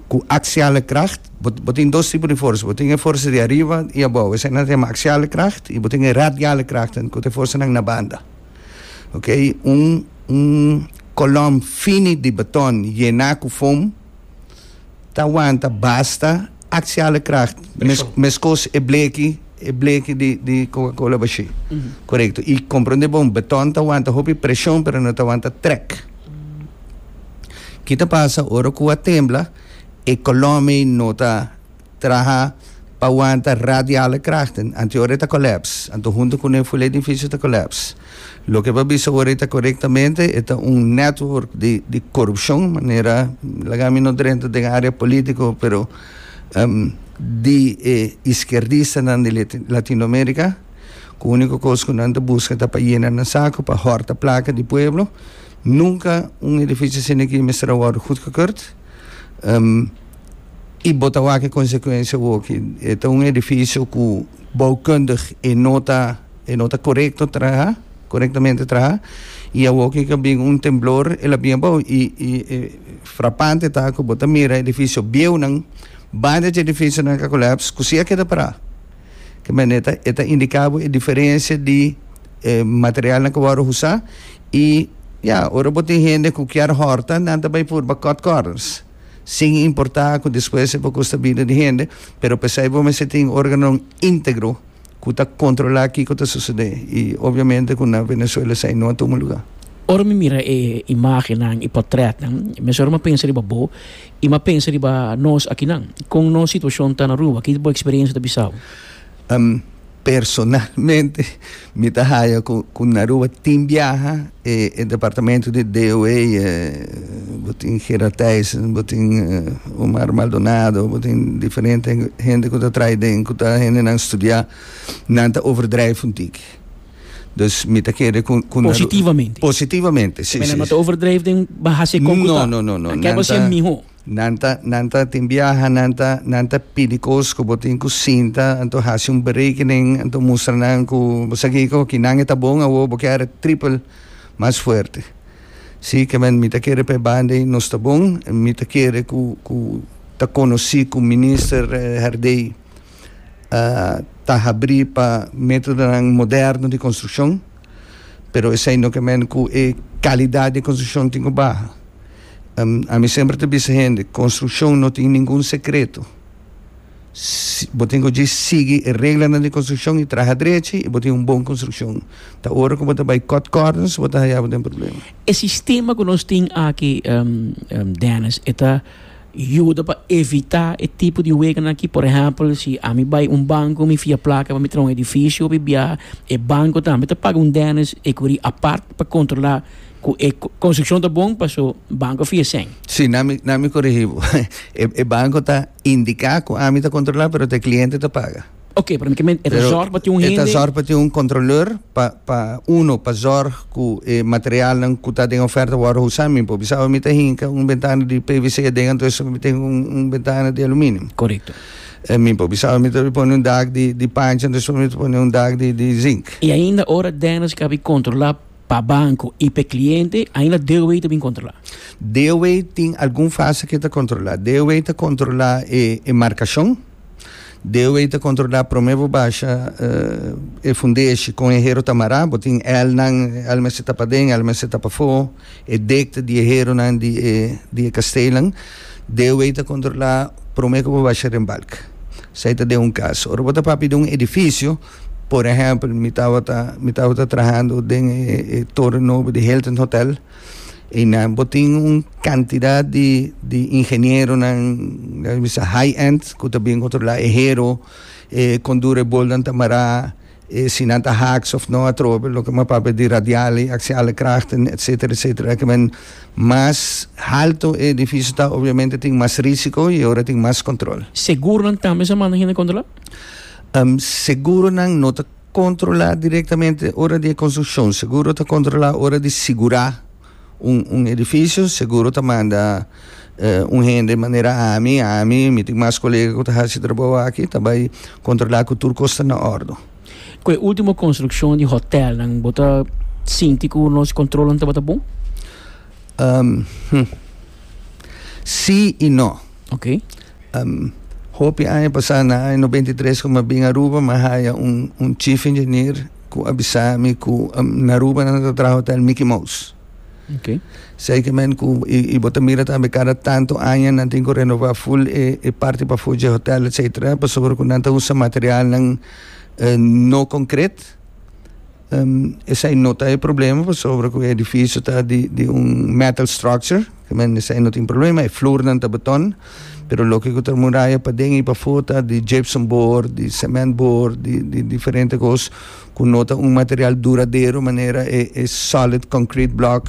ku aksiale kracht. Bo, bo tin dos tipo di forsa. Bo tin e forsa di ariba i abou. Eseinan ta yama aksiale kracht i bo tin e radiale kracht ku ta e forsanan na banda. Oke, un, un kolom fini di baton yená ku fom. ta wanta basta axiale kracht mes meskos e bleki e bleki di di coca cola bashi correcto y comprende bon beton ta wanta hopi presion pero no ta wanta trek kita pasa ora cua tembla e colome no ta Traha pa wanta radiale krachten anto ora e ta kolaps, anto hunto kuné ful edifisio ta kolaps. Loke pa bisa ora e ta korektamente, e ta un network di korupshon, manera laga mi no drenta den área polítiko, pero di e iskierdistanan di Latinoamérika ku úniko kos ku nan ta buska ta pa yena nan saku, pa hòrta plaka di pueblo. Nunka un edifisio asina aki mester a wòrdu gudkekerd. I bo ta wak e konsekuensia oki. E ta un edifisio ku boukundig e no ta e no ta korekto traha, korektamente traha, i awoki ku a bin un temblor el a bin abou. I i e frapante ta ku bo ta mira edifisio bieunan, banda dje edifisionan ka kolaps ku si a keda pará. Ke manera e ta e ta indiká bo e diferensia di e materialnan ku wòrdu usá i, ya, ora bo tin hende ku kier hòrta nan ta bai purba kòt kòrners. sin importa cu despues e por custa bida di hende, pero pesey bo mester tin un organon integro cu ta controla kico ta sucede y obviamente cu na Venezuela esey no a tuma lugar. Ora mi mira e imagennan, e portretnan, mesora m'a pensa riba bo y m'a pensa riba nos akinan. Con nos situacion ta na Aruba? Ki bo experiencia ta bisa'bo? Personalmente mi ta haya cu na Aruba tin biaha e departamento di DOA, bo tin Gerard Thijssen, bo tin Omar Maldonado, bo tin diferente hende cu ta traha den, cu ta hendenan studia, nan ta overdrijf un tiki. Dus mi ta kere cu na Aruba. Positivamente. Positivamente, si, si. Cu nan no ta overdrijf den baha si con cu ta. No, no, no, no. Nan ta. Nan ta keba ser miho. Nan ta, nan ta tin biaha, nan ta, nan ta pidi cos cu bo tin cu sinta, anto haci un berekening, anto mustra nan cu bo sa kico, ki nan e ta bon awor, bo kier triple mas fuerte. Si, ke men mi ta kere p'e banda ey nos ta bon, mi ta kere cu, cu ta conoci cu Minister Herdey ta habri pa metodonan moderno di construccion, pero esey no ke men cu e calidad di construccion tin cu baha. Ami semper ta bisa hende, construccion no tin ningun secreto. Bo tin cu dje sigui e reglanan di construccion y traha drechi y bo tin un bon construccion. Ta ora cu bo ta bay cut corners bo ta haya bo den problema. E sistema cu nos tin aki Dennis e ta yuda pa evita e tipo di hueganan aki. Por ehempel si ami bay un banco mi fia placa pa mi traha un edificio of mi biaha e banco tambe ta paga un Dennis ecury apart pa controla. cu e construccion ta bon paso banco fia seng. Si, na mi, na mi corigi bo. E, e banco ta indica cu ami ta controla, pero ta e cliente ta paga. Oke, pero mi ta menti, e ta Pero zorg pa tin un e ta hende. zorg pa tin un controleur pa, pa, uno, pa zorg cu e materialnan cu ta den oferta worde usa. Mi por bisa awe mi ta hinca un bentana di PVC aden anto esaki mi ta hinca un, un bentana di aluminium. Correcto. E mi por bisa awe mi ta di pone un dak di, di pancha anto esaki mi ta pone un dak di, di zinc. Y ainda ora Dennis cabi controla pa banco y p'e cliente ainda DOH ta bin controla? DOH tin algun fase ke ta controla. DOH ta controla e e marcacion. DOH ta controla prome bo basha e fundeshi con e hero ta mara. Bo tin elnan, el mester ta paden, el mester ta pafo. E dikte di e heronan di e di e kasteelnan. DOH ta controla prome ke bo basha den balk. Esei ta den un cas. Ora bo ta papia den un edificio. Por ehempel, mi tabata, mi tabata trahando den e, e torre nobo di Hilton Hotel. Y nan, bo tin un cantidad di, di ingenieronan, laat mi sa high-end, cu ta bien controla e hero, e con dura e bolnan ta mará, e si nan ta haaks of no atrobe, loke mas papia di radiale, axiale krachten, etcetera, etcetera. Esaki men, mas halto e edificio ta, obviamente tin mas risico y ora tin mas control. Segur nan tambe sa manda hende controla? Um, seguronan no ta controla directamente ora di e construccion. Seguro ta controla ora di sigura un, un edificio. Seguro ta manda eh, un hende manera ami, ami, mi tin mas colega cu ta haci trabou aki, ta bai controla cu tur cos ta na ordo. Cu e ultimo construccion di hotelnan, bo ta sinti cu nos controlnan tabata bon? Um, hmm. Si y no. Ok. Um, hopi aña pasá na aña nobenta i tres ku mi a bin Aruba, mi a haya un, un chief engineer ku a bisa mi ku um, na Aruba nan ta traha hotel Mickey Mouse. Ok. Sei ke men ku i, i bo ta mira tambe kada tantu aña nan tin ku renová full e, e parti pafó dje hotel, etcétera, pasobra ku nan ta usa materialnan eh, no konkret. Esei no ta e problema pasobra ku e edifisio ta di di un metal structure, ta mester esei no tin problema, e flurnan ta beton, pero loke ku ta muraya paden i pafo ta di gypsum board, di cement board, di di diferente kos ku no ta un material duradero manera e e solid concrete block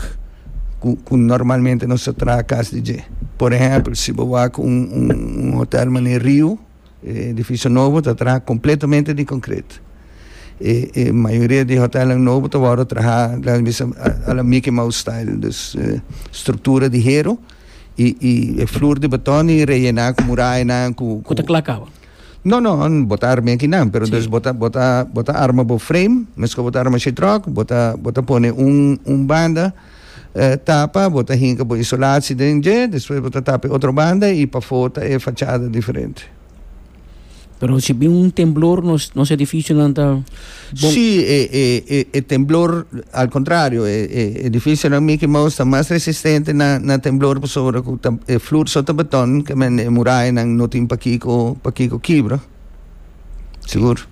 ku ku normalmente nos ta traha kas di dje. Por ehèmpel si bo wak un un hotel manera Riu. E edifisio nobo ta traha kompletamente di konkret. E e mayoria di hotèlnan nobo ta wòrdu trahá laga di sa a la Mickey Mouse style, dus struktura di heru i i e flur di batòn i reyená ku murayanan ku ku ta kla kaba? No no, no bo ta arma e kinan, pero dus bo ta bo ta bo ta arma bo frame, meskos bo ta arma sheitròk, bo ta bo ta pone un un banda, tapa, bo ta hinka bo isolasi den dje, despues bo ta tapa e otro banda y pafó ta e fachada diferente. Pero si bin un temblor nos nos edificionan ta bon? Sí, e e e e temblor al contrario e e edificionan Mickey Mouse ta mas resistente na na temblor pasobra cu ta e flur so ta beton, kemende e murayanan no tin pakico pakico kibra. Sigur.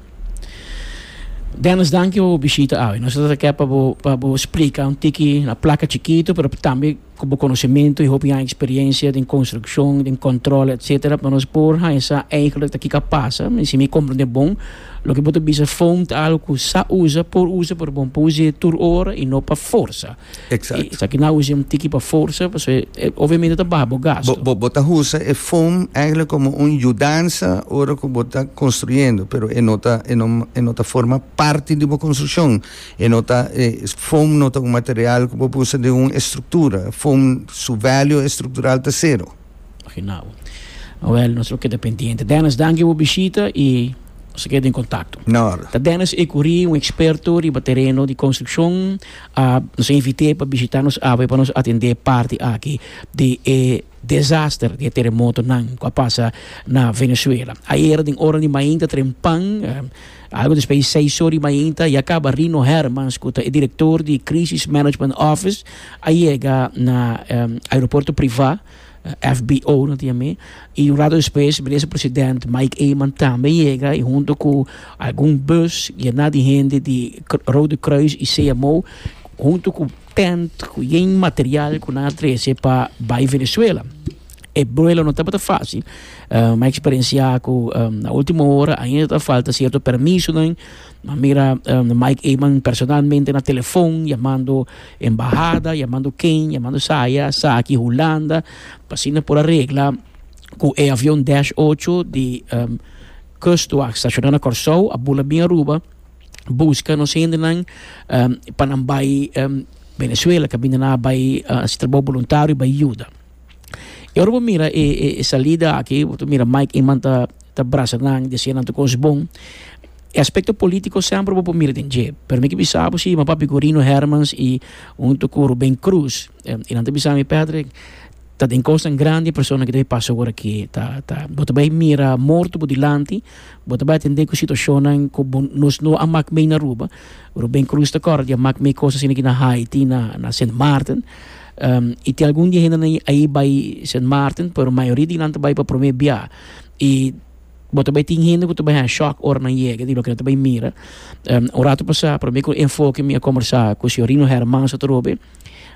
Dennis danki bo bishita awe. Nos ta ke pa bo pa bo splika un tiki na plaka chikitu pero tambe ku bo konosementu i hopi aña eksperensia den konstrukshon, den kòntròl etsetera pa nos por haña sa eigelik ta kiko a pasa. Si mi komprende bon loke bo ta bisa foam ta algu ku sa usa, por usa pero bo no por usa tur ora i no pa forsa. Exact. I esaki nan usa un tiki pa forsa pasobra e obviamente ta baha bo gasto. Bo bo ta usa e foam eigenlijk como un yudansa ora cu bo ta construyendo pero e no ta e no e no ta forma parti di bo construccion. E no ta e foam no ta un material cu bo por usa den un estructura. Foam su value estructural ta cero. Afinau. Awel, nos lo keda pendiente. Dennis, danki bo bishita i nos keda den kontakto. Na orde. Ta Dennis Ecurí, un eksperto riba tereno di konstrukshon. A nos a invit'é pa bishitá nos awe pa nos atendé parti aki di e desaster di e teremotonan ku a pasa na Venezuela. Ayera den ora di mainta trempan, Algo despues di seis or di mainta ya caba Rino Hermans cu ta e director di Crisis Management Office a yega na aeropuerto priva, FBO no tin ami, y un rato despues Minister President Mike Eman tambe yega y hunto cu algun bus yena di hende di Rode Kruis y CMO hunto cu Tent ku yen material ku nan a trese pa bai Venezuela. E buelo no tabata fásil. Mi a eksperensiá ku na último ora ainda ta falta sierto permisonan. Mi a mira Mike Eman personalmente na telefon yamando embahada, yamando ken, yamando saya, esaki Hulanda pa asina por a regla ku e avion Dash ocho di Kustwacht shashoná na Kòrsou a bula bin Aruba. Busca nos hendenan pa nan bay Venezuela, caminda nan a bay haci trabao boluntario y bay yuda. Y ora bo mira e salida aki, bo ta mira Mike Eman ta brasa nan, dicia nan tur cos bon. E aspecto politico semper bo por mira den dje, pero mi ke bisa bo si Mapá Vigorino Hermans y hunto cu Rubén Cruz, Y nan ta bisa mi, Patrick, ta den cosnan grandi e persona ki ta bay pasa awor aki. Ta, ta, bo ta bay mira morto bo dilanti, bo ta bay atende cu situacionnan cu bo, nos no a mak mee na Aruba. Rubén Cruz ta corda di a mak mee cos asina aki na Haiti, na, na Sint Maarten. y tin algun di e hendenan ayi bay Sint Maarten, pero mayoria di nan ta bay pa prome bia. Y bo ta bay tin hende cu ta bay a shock ora nan yega di loke nan ta bay mira. un rato pasa, prome cu enfoke mi a combersa cu señor Rino Hermans atrobe,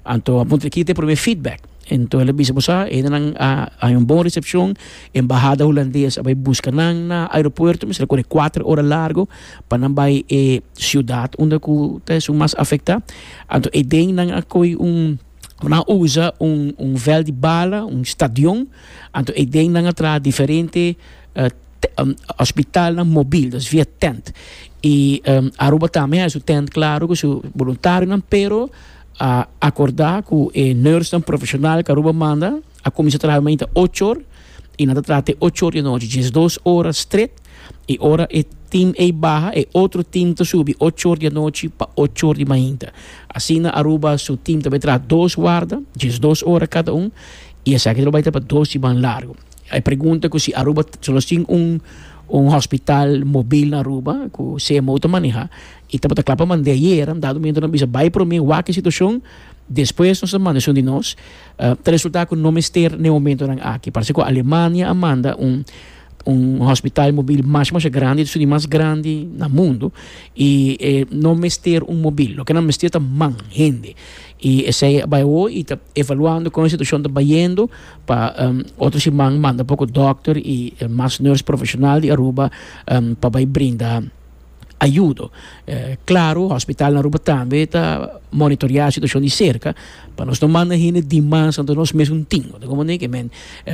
Anto a puntra ki ta e prome feedback. Anto el a bisa bo sa, hendenan a haña un bon resepshon, embahada hulandes a bai buska nan na aeropuerto, mester a kore kuater ora largo pa nan bai e siudat unda ku ta esun mas afektá. Anto eden nan a kohe un, nan a usa un un vèl di bala, un stadion, anto eden nan a traha diferente. hospitalnan mobil, dus via tent. I Aruba tambe a e su tent klaru ku su boluntarionan, pero a akordá ku e nòrsnan profeshonal ku Aruba manda a kuminsá traha mainta ocho or i nan ta traha te ocho or di anochi, diesdos ora stret. I ora e tim ei baha e otro tim ta subi ocho or di anochi pa ocho or di mainta. Asina Aruba su tim ta bai traha dos warda, diesdos ora kada un, i esaki ta lo bai traha pa dos siman largu. E pregunta cu si Aruba solo tin un un hospital mobil na Aruba cu CMO ta maneha y tabata cla pa mande aye era dado momento nan bisa bay prome wak e situacion despues nos ta manda esun di nos ta resulta cu no mester na e momento nan aki parse cu Alemania a manda un un hospital mobil masha masha grandi esun di mas grandi na mundo y e no mester un mobil loke nan mester ta man hende y esey a bay awo y ta evaluando con e situacion ta bayendo Pa otro siman manda poko dokter i mas nurse profesional di Aruba pa bai brinda ayudo. Claro, hospital na Aruba tambe ta monitorea situacion di cerca pa nos no manda hende dimas dan nos mesun tin. Unda como ne'e ke men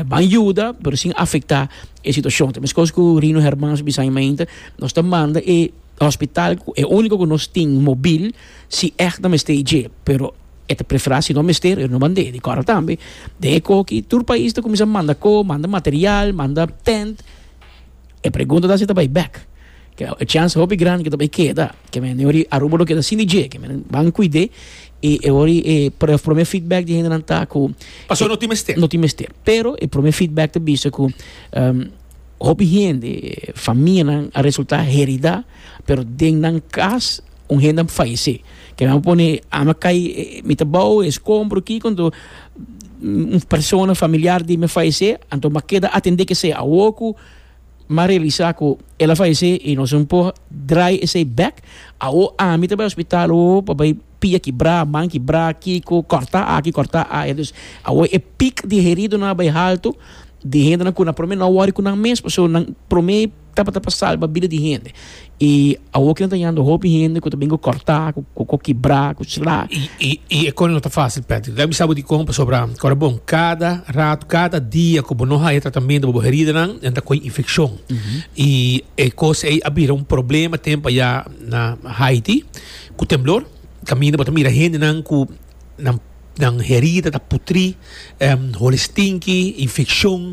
ban yuda pero sin afecta e situacion. Ta mescos cu Rino Hermans bisa aña mainta, nos ta manda e hospital, e unico cu nos tin mobil si ect ta mester dje pero E ta preferá si no mester e ruman de Cora tambe. Den e koki tur pais ta kuminsá manda ko, manda material, manda tènt. E pregunta ta si ta bai bèk. E chèns hopi grandi ku ta bai keda. Ke men den ori Aruba lo keda sin di dje. Ke men ban kuid'é i e ori e promé feedback di hendenan ta ku Pasó no tin mester. no tin mester. Pero e promé feedback ta bisa ku hopi hende, famianan a resultá heridá, pero den nan kas. Un hende a fayesé. Ke nan a pone ama kai mi ta bou e skombro kiko anto un persona familiar di mi a fayesé anto mi a keda atendé kesei awor ku mi a realisá ku el a fayesé i nos no por drai esei bek. Awor ami ta bai hospital o pa bai pia kibrá, man kibrá, kiko, kòrtá aki, kòrtá aya. Dus awor e pik di heridonan a bai haltu di hendenan ku nan promé no a wòri ku nan mes pasobra nan promé. Tabata pa salba bida di hende. I awor ke nan ta yanda hopi hende ku ta bin ku kòrtá, ku ku kibrá, ku slá. I i i e kos no ta fásil, Patrick. Lo ke a bisa bo di kon, pasobra ora bon kada ratu, kada dia ku bo no haya tratamentu pa bo heridanan, nan ta kohe infekshon. I e kos ei a bira un problema tempu ayá na Haiti ku temblor. Kaminda bo ta mira hendenan ku nan. Nan herida ta putrí, holi stinki, infekshon,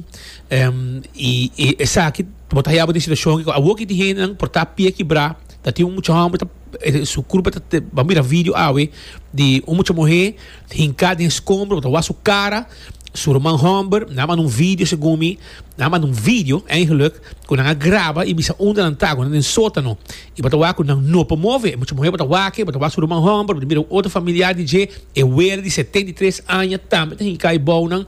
i esaki bo ta hayaba den situashon aki ku awor ki tin hendenan por ta pia kibrá. Ta tin un mucha hòmber, su kurpa ta te, bo a mira video awe di un mucha muhé hinká den skombro, bo ta wak su kara, su ruman hòmber, nan a manda un video segun mi, nan a manda un video, èigenluk. ku nan a graba i bisa unda nan ta, ku nan den sótano, i bo ta wak ku nan no por move. Mucha muhé bo ta wak e, bo ta wak su ruman hòmber, bo ta mira un otro familiar di dje, e wera di setenta i tres aña tambe ta hinká i bou nan.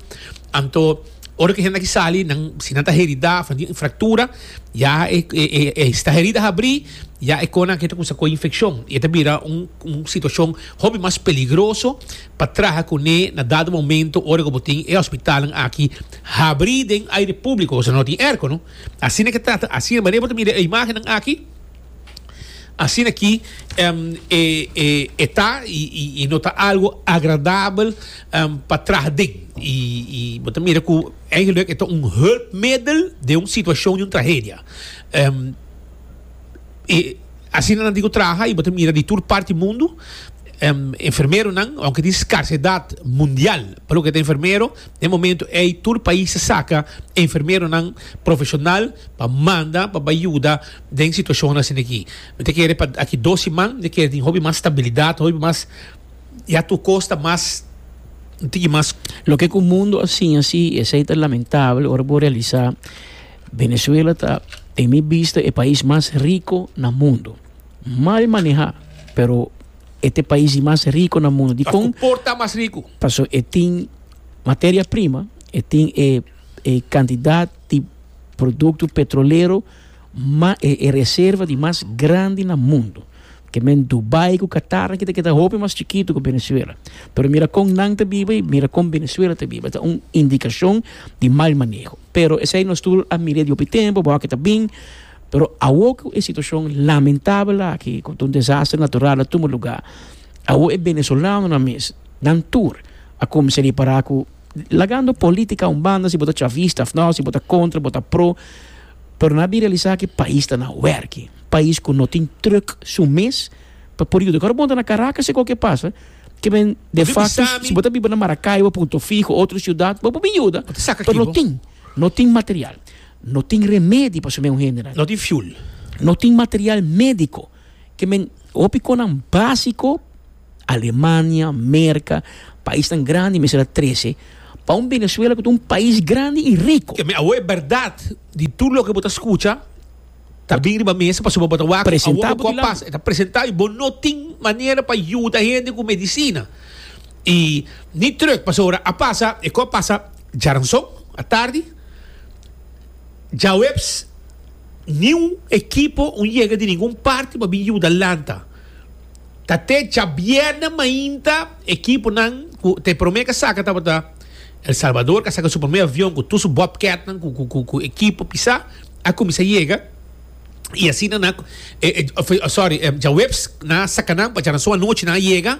Anto, ora ku e hende aki sali, nan, si nan ta heridá òf nan tin un fraktura, ya e, e, e sta herida habrí, ya e kòne aki ta kuminsá kohe infekshon i e ta bira un, un situashon hopi mas peligroso. pa traha kuné na dado momento ora ku bo tin e hospitalnan aki habrí den aire públiko osea no tin airco no asina ke trata asina manera bo ta mira e imágennan aki asina ki e ta i no ta algu agradabel pa traha den i bo ta mira ku eigendlik e ta un hulpmiddel den un situashon di un trahedia. e asina nan tin ku traha i bo ta mira di tur parti mundu enfermeronan aunke tin skarsedad mundial pa loke ta enfermero den momento ei tur pais ta saka enfermeronan profeshonal pa manda pa bai yuda den situashon asin aki mi ta kere pa aki dos siman mi ta kere tin hopi mas stabilidad hopi mas ya tur kos ta mas un tiki mas. Loke ku mundu a siña si i esei ta lamentable ora bo realisá. Venezuela ta den mi bista e pais mas riko na mundo. Mal maneha pero e ta e pais di mas riko na mundo. Dikon? Paso por ta mas riko? Paso e tin materia prima, e tin e e kantidat di produkto petrolero mas e reserva di mas grandi na mundo. Ke men Dubai ku Qatar aki ta keda hopi mas chikitu ku Venezuela. Pero mira kon nan ta biba i mira kon Venezuela ta biba. Ta un indikashon di mal maneho. Pero esei nos tur a mira di hopi tempu, bo aki ta bin. Pero awo ku e situashon lamentabel aki, ku ta un desastre natural a tuma lugá, awo e benezolanonan mes, nan tur a kuminsá ripará ku, lagando politika un banda, si bo ta chavista òf nò, si bo ta kontra, bo ta pro, Pero na bira lisa ki pais ta na werki, pais ku no tin truck su mes pa por yuda. Kor bo ta na Caracas si kualke pasa, ke men de facto si bo ta biba na Maracaibo, Punto Fijo, otro siudat bo por bin yuda pero no tin, no tin material, no tin remedi pa sumei un hende nan, no tin fuel, no tin material medico ke men hopi konan basico. Alemania, Merka, paisnan grandi mester a trese pa un Venezuela ku ta un pais grandi i riko. Te mi awo e bèrdat di tur loke bo ta skucha ta bin riba mesa pasobra bo ta wak ku awo bo kòp pasa. E ta presentá i bo no tin manera pa yuda hende ku medisina i ni trùk pasobra a pasa e kòp pasa djaranson atardi, djaweps niun ekipo un yega di ningun parti pa bin yuda lanta. Ta te djabièrnè mainta ekiponan ku ta e promé ka saka tabata El Salbador ka saka su promé avion ku tur su bòbkètnan ku ekipo pisá a kuminsá yega i asina nan, sòri, djaweps nan a saka nan pacha nan so anochi nan a yega.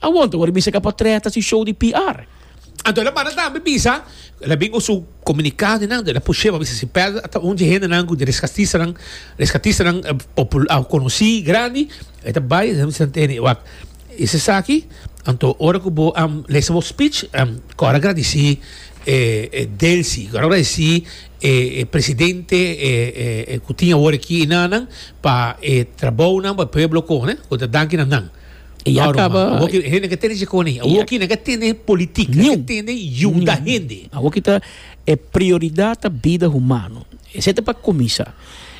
Awor ta worde bisa ke a por trèta su show di PR. Anto el a manda tambe bisa el a bin usa komunikado di nan dor el a push'é pa bisa si Pèl a ta un dje hendenan ku reskatistanan reskatistanan konosí grandi e ta bai e ta bisa Anteni wak e si esaki anto ora ku bo a lesa bo spich kòrda gradisí e Delsy kòrda gradisí e presidente ku tin awor aki i nannan pa e trabounan pa e pueblo kohe ku ta danki na nan. E ya kaba. No, awoki hende ka tene chikoní. Awoki nan ka tene politik. Nan ka tene yuda hende. Awoki ta e prioridat ta bida humano. Esei ta pa kuminsá.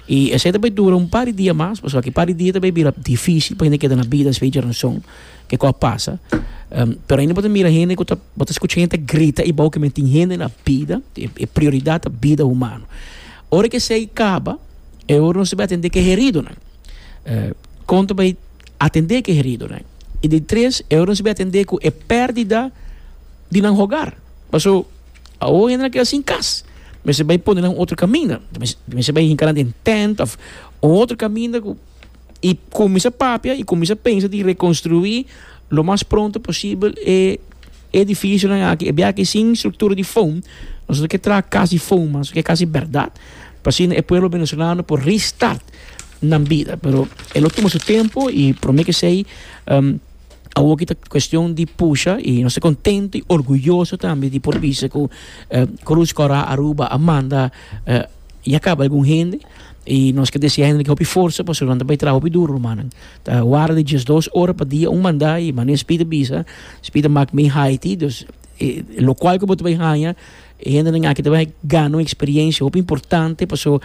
I esei ta bay dura un par di dia mas, pasobra ki par di dia ta bay bira difísil pa hende keda na bida, espe Geronson, ke kos a pasa. Pero ainda bo ta mira hende ku ta, bo ta skucha hende ta grita ei bou ke men tin hende na bida. E prioridat ta bida humano. Ora ke esei kaba, e ora nos ta bay atendé ke heridonan. Kon ta bay. atendé ku e heridonan i di tres e otro nan sibi atendé ku e pèrdida di nan hogar. Paso awor hende nan a keda sin kas, mester bai pone nan otro kaminda, mester bai hinka nan den tènt òf un otro kaminda ku i kuminsá papia i kuminsá pensa di rekonstruí lo mas pronto posibel e edifisionan aki, e biaha aki sin struktura di foam, nosotros ke traha kas di foam mas, ke kas di bèrdat pa asina e pueblo venezolano por restart. nan bida pero e lo tuma su tempo y prome ke sei um, Awoki ta cuestión di pusha y nos contento y orgulloso también di por bisa ku eh, Cruz Cora Aruba Amanda eh, ya acaba algún hende y nos que desea hende que hopi forza pa solanta pa trabajo hopi duro hermano ta wara di 12 horas pa dia un manda y mané spita bisa spita mak me Haiti dus eh, lo cual que bota bay haya hende nan aki te bay gana un experiencia hopi importante paso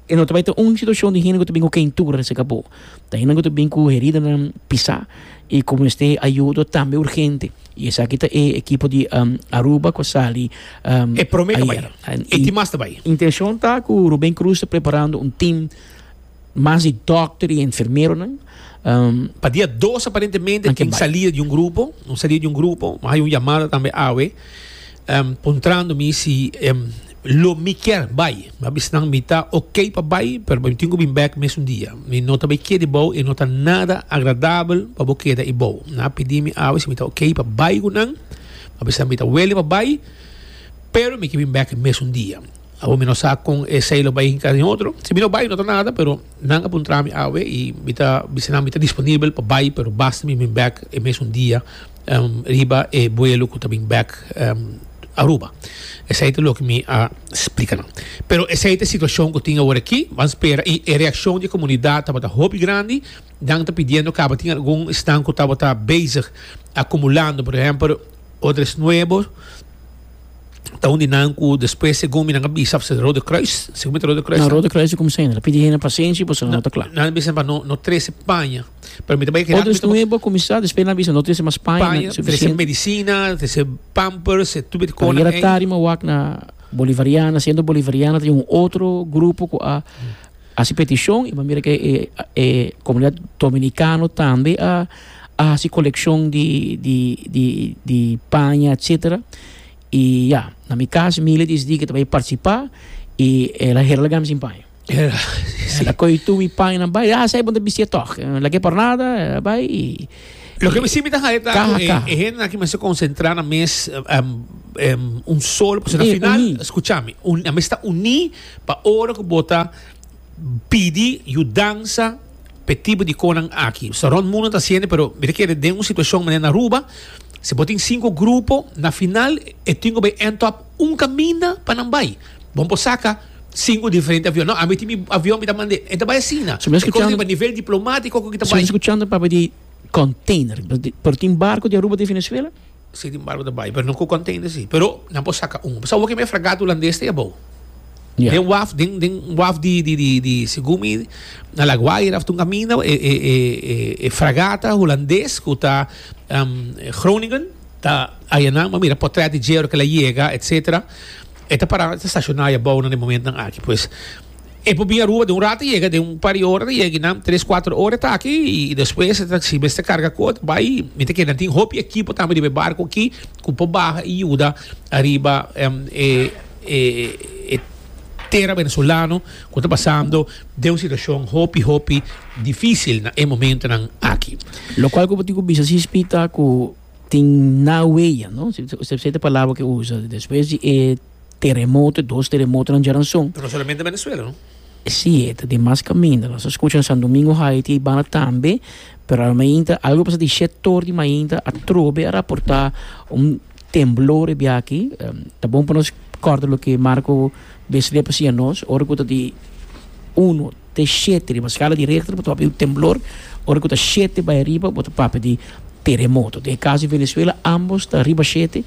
E no ta bai ta un situashon di hende ku ta bin ku keintura na se kapó. Ta hende ku ta bin ku heridanan pisá i ku mester ayudo tambe urgente. I esaki ta e ekipo di Aruba ku a sali ayer. E promé ta bai. E tin mas ta bai. Intenshon ta ku Rubén Cruz ta preparando un tim mas di dòkter i enfermeronan pa dia dos aparentemente tin salida di un grupo tin salida di un grupo. Hay un yamada tambe awe em puntrando mi si em lo mi kier bai a bisa nan mi ta ok pa bai pero mi tin ku bin bek mesun dia mi no ta bai keda ibou e no ta nada agradabel pa bo keda ibou nan a pidi mi awe si mi ta ok pa bai ku nan a bisa mi ta wele pa bai pero mi ke bin bek mesun dia awo mi no sa kon e sei lo bai hinka den otro si mi no bai no ta nada pero nan a puntra mi awe i mi ta bisa nan mi ta disponibel pa bai pero basta mi bin bek e mesun dia riba e buelo cu ta bin bek Aruba. Esey ta loke mi a splica nan. Pero esey ta e situacion cu tin awor aki. Ban spera. Y e reaccion di e comunidad tabata hopi grandi. Nan ta pidiendo caba. Tin algun esnan cu tabata bezig acumulando. Por ehempel Odres Nuevo ta un di nan cu despues segun mi nan a bisa after Rode Kruis. Segun mi ta Rode Kruis. Na Rode Kruis e cuminsa hende ta pidi hende pasenshi y pasobra no ta cla. Nan a bisa pa no trece paña. Pero mi ta bai Otros nuevo comisar, después na bisa no tese mas paña Paña, trece medicina, trece pampers, tu bit kona. Era tarima wak na Bolivariana, siendo Bolivariana tin un otro grupo ku a hasi petishon, iba mira ke e e komunidat Dominikano tambe a a hasi kolekshon di di di di paña etsetera. I ya, na mi kas mi le desidí ke ta bai partisipá i el a hera laga mi sin paña. Ela a kohe tu mi paña nan bai. Ah, sa e bon ta bistí atòg. Nan lag'é por nada, a bai i. Loke mi sibi ta haña ta Kaha, ku e, kaha. e hende nan ki mester konsentrá na mes em, em, un solo, pasobra na Uní, final, uní. skucha mi, un, nan mester ta uní pa ora ku bo ta pidi yudansa p'e tipo di konan aki. Pasobra rònt mundu nan ta hasiende, pero mi ta kere den un situashon manera na Aruba, si bo tin sinku grupo, na final e tin ku bai èntòp un kaminda pa nan bai. Bo no por saka. Sinku diferente avion. No, ami tin mi avion mi ta mand'é. E ta bai asina. So mi a E kon riba skuchando, nivel diplomatiko ku ki ta so mi a bai. skuchando papia di container. Di, pero tin barco di Aruba di Venezuela? Si tin barco ta bai, pero no ku container si. Pero nan por saka un. Bo sa wak kiba e fragata hulandes ta e abou? Ya. Den waf, den, den waf di, di, di, di, segun mi, na La Guaira of Tunga Mina, e, e, e, e, e fragata hulandes ku ta Groningen ta ayanan, bo mira, potret di dje ora ku el a yega, etsetera. E ta pará, e ta stashoná ya bou nan e momentnan aki. Pues, e por bin Aruba den un rato yega, den un par di ora ta yega aki nan, tres, kuater ora e ta aki, i despues e ta, si mester karga ku otro bai, mi ta keda. Tin hopi ekipo tambe riba e barku aki ku por baha i yuda ariba e e tera venezolano ku ta pasando den un situashon hopi, hopi difísil na e momentonan aki. Lokual ku bo tin ku bisa, si spita ku tin na wea no usted sabe e palabra ke usa despues di e teremoto e dos teremotonan dja nan son no solamente Venezuela no si e ta demas caminda nos a scucha San Domingo high ti eibanda tambe pero al mainta algo pasa di sector di mainta atrobe a raporta un temblor ebiachi ta bon pa nos corda loke Marco Bestreb a siña nos ora cu ta di uno te shete riba skala di Richter bo ta papia di un temblor ora ku ta shete bai ariba bo ta papia di teremoto den e kaso di Venezuela ambos ta riba shete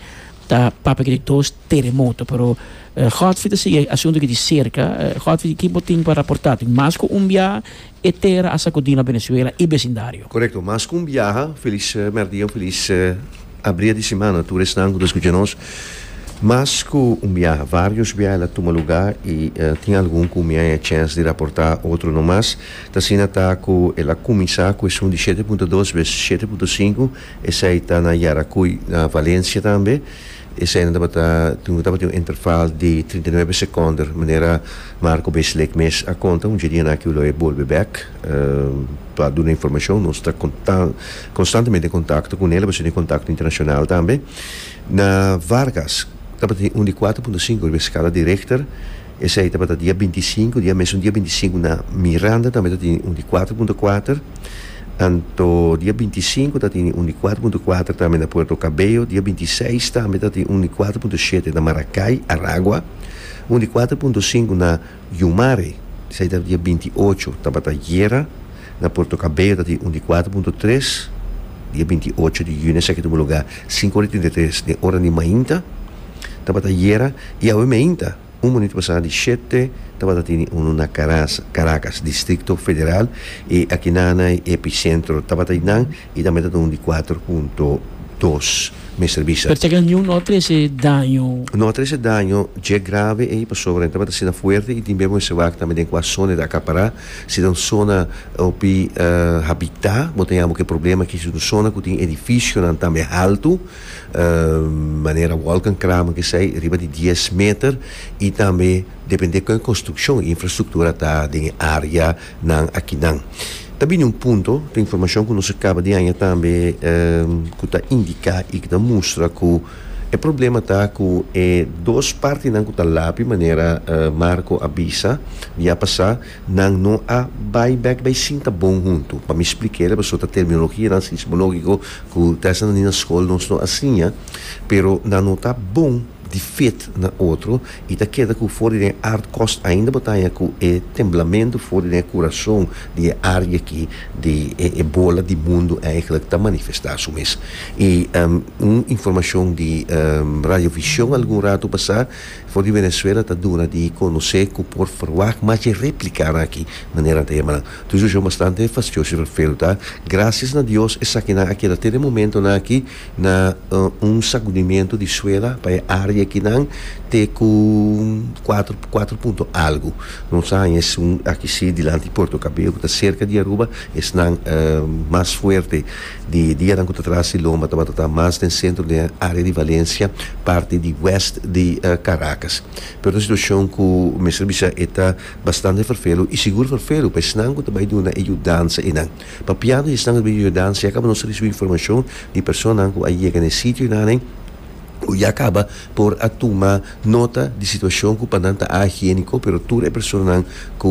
ta papia di dos teremoto pero Godfrey ta sigui e asuntu aki di serka Godfrey ki bo tin pa raporta tin mas ku un biaha e tera a sakudi na Venezuela i besindario. Korekto mas ku un biaha Feliz merdia en Feliz. A bria di simana tur esnan ku ta skucha nos mas ku un biaha, varios biaha el a tuma lugá i tin algun ku mi a haña chèns di raportá otro no mas. Ta asina ta ku el a kuminsá ku esun di shete punto dos bes shete punto sinku, esei ta na Yaracuy, na Valencia tambe. Eseinan tabata tin tabata tin un interval di trinta i nuebe sekonder manera Marco Bezlek mes a konta un dje di ana aki lo e bolbe bèk. pa duna informashon nos ta konstantemente en kontakto ku nel a basá di e kontakto internashonal tambe na Vargas tabatin un di kuater punto sinku riba e skala di Richter esei tabata dia binti sinku dia mesun dia binti sinku na Miranda tambe ta tene un di kuater punto kuater anto dia binti sinku ta tene un di kuater punto kuater tambe na Puerto Cabello dia binti seis tambe ta tene un di kuater punto shete na Maracay Aragua un di kuater punto sinku na Yumare, esei ta dia binti i ocho, tabata guera na Puerto Cabello, ta tin un di kuater punto tres, dia binti i ocho di yuni esaki tuma lugá sinku ora i trinta i tres den ora di mainta, tabata guera, i awe meinta, un munitu pasá di shete tabata tene unu na Karas, Caracas, Distrikto Federal, i akinan na e epicentro tabata einan I tambe ta ta un di kuater punto dos mester bisa. Pero teken niun no a trese daño. No a trese daño dje grave ei pasobra nan tabata asina fuerte i tin bebe mester wak tambe den kua zona e ta akapará. Si ta un zona hopi habitá bo ta yama ku e problema aki si ta un zona ku tin edifisionan tambe haltu manera Wolkenkramer kesei riba di dies meter i tambe depende kon e konstrukshon infrastruktura ta den e área Nan akinan. Ta bini un punto, ta informashon ku nos a kaba di haña tambe ku ta indiká i ku ta mustra ku e problema ta ku e dos partinan ku ta lapi manera Marco a bisa di ya pasá nan no a bai bèk bai sinta bon huntu. Pa mi spliká el a pasobra ta terminologianan sismológiko ku dèsda nan di na skol nos no a siña pero nan no ta bon. di fét na otro i ta keda ku for di den art kos ainda bo ta haña ku e temblamentu for di den e kurason di e art aki di e bola di mundu eigenlijk ta manifestá su mes. I un informashon di Radio Vision algun ratu pasá for di Venezuela ta duna di konosé ku por ferwagt mas di e réplikanan aki, manera nan ta yama nan. Tu un situashon bastante fastioso i refel ta. Grasias na Dios esakinan a keda te den momentonan aki. na un sakudimentu di suela pa e área akinan te ku kuater kuater punto algu. Nos a haña esun aki sí dilanti di Puerto Cabello ku ta serka di Aruba, esnan mas fuerte di dianan ku ta tras di lomba tabata ta mas den sentro di área di Valencia, parti di west di Caracas. Pero ta un situashon ku mester bisa e ta bastante ferfelu i sigur ferfelu pa esnan ku ta bai duna e yudansa einan. Pa piado y esnan recibi yuda, si acaba nos a recibi informacion di personanan cu a yega na e sitio y nanen cu ya caba por a tuma nota di situacion cu pa nan ta a higienico, pero tur e personanan cu.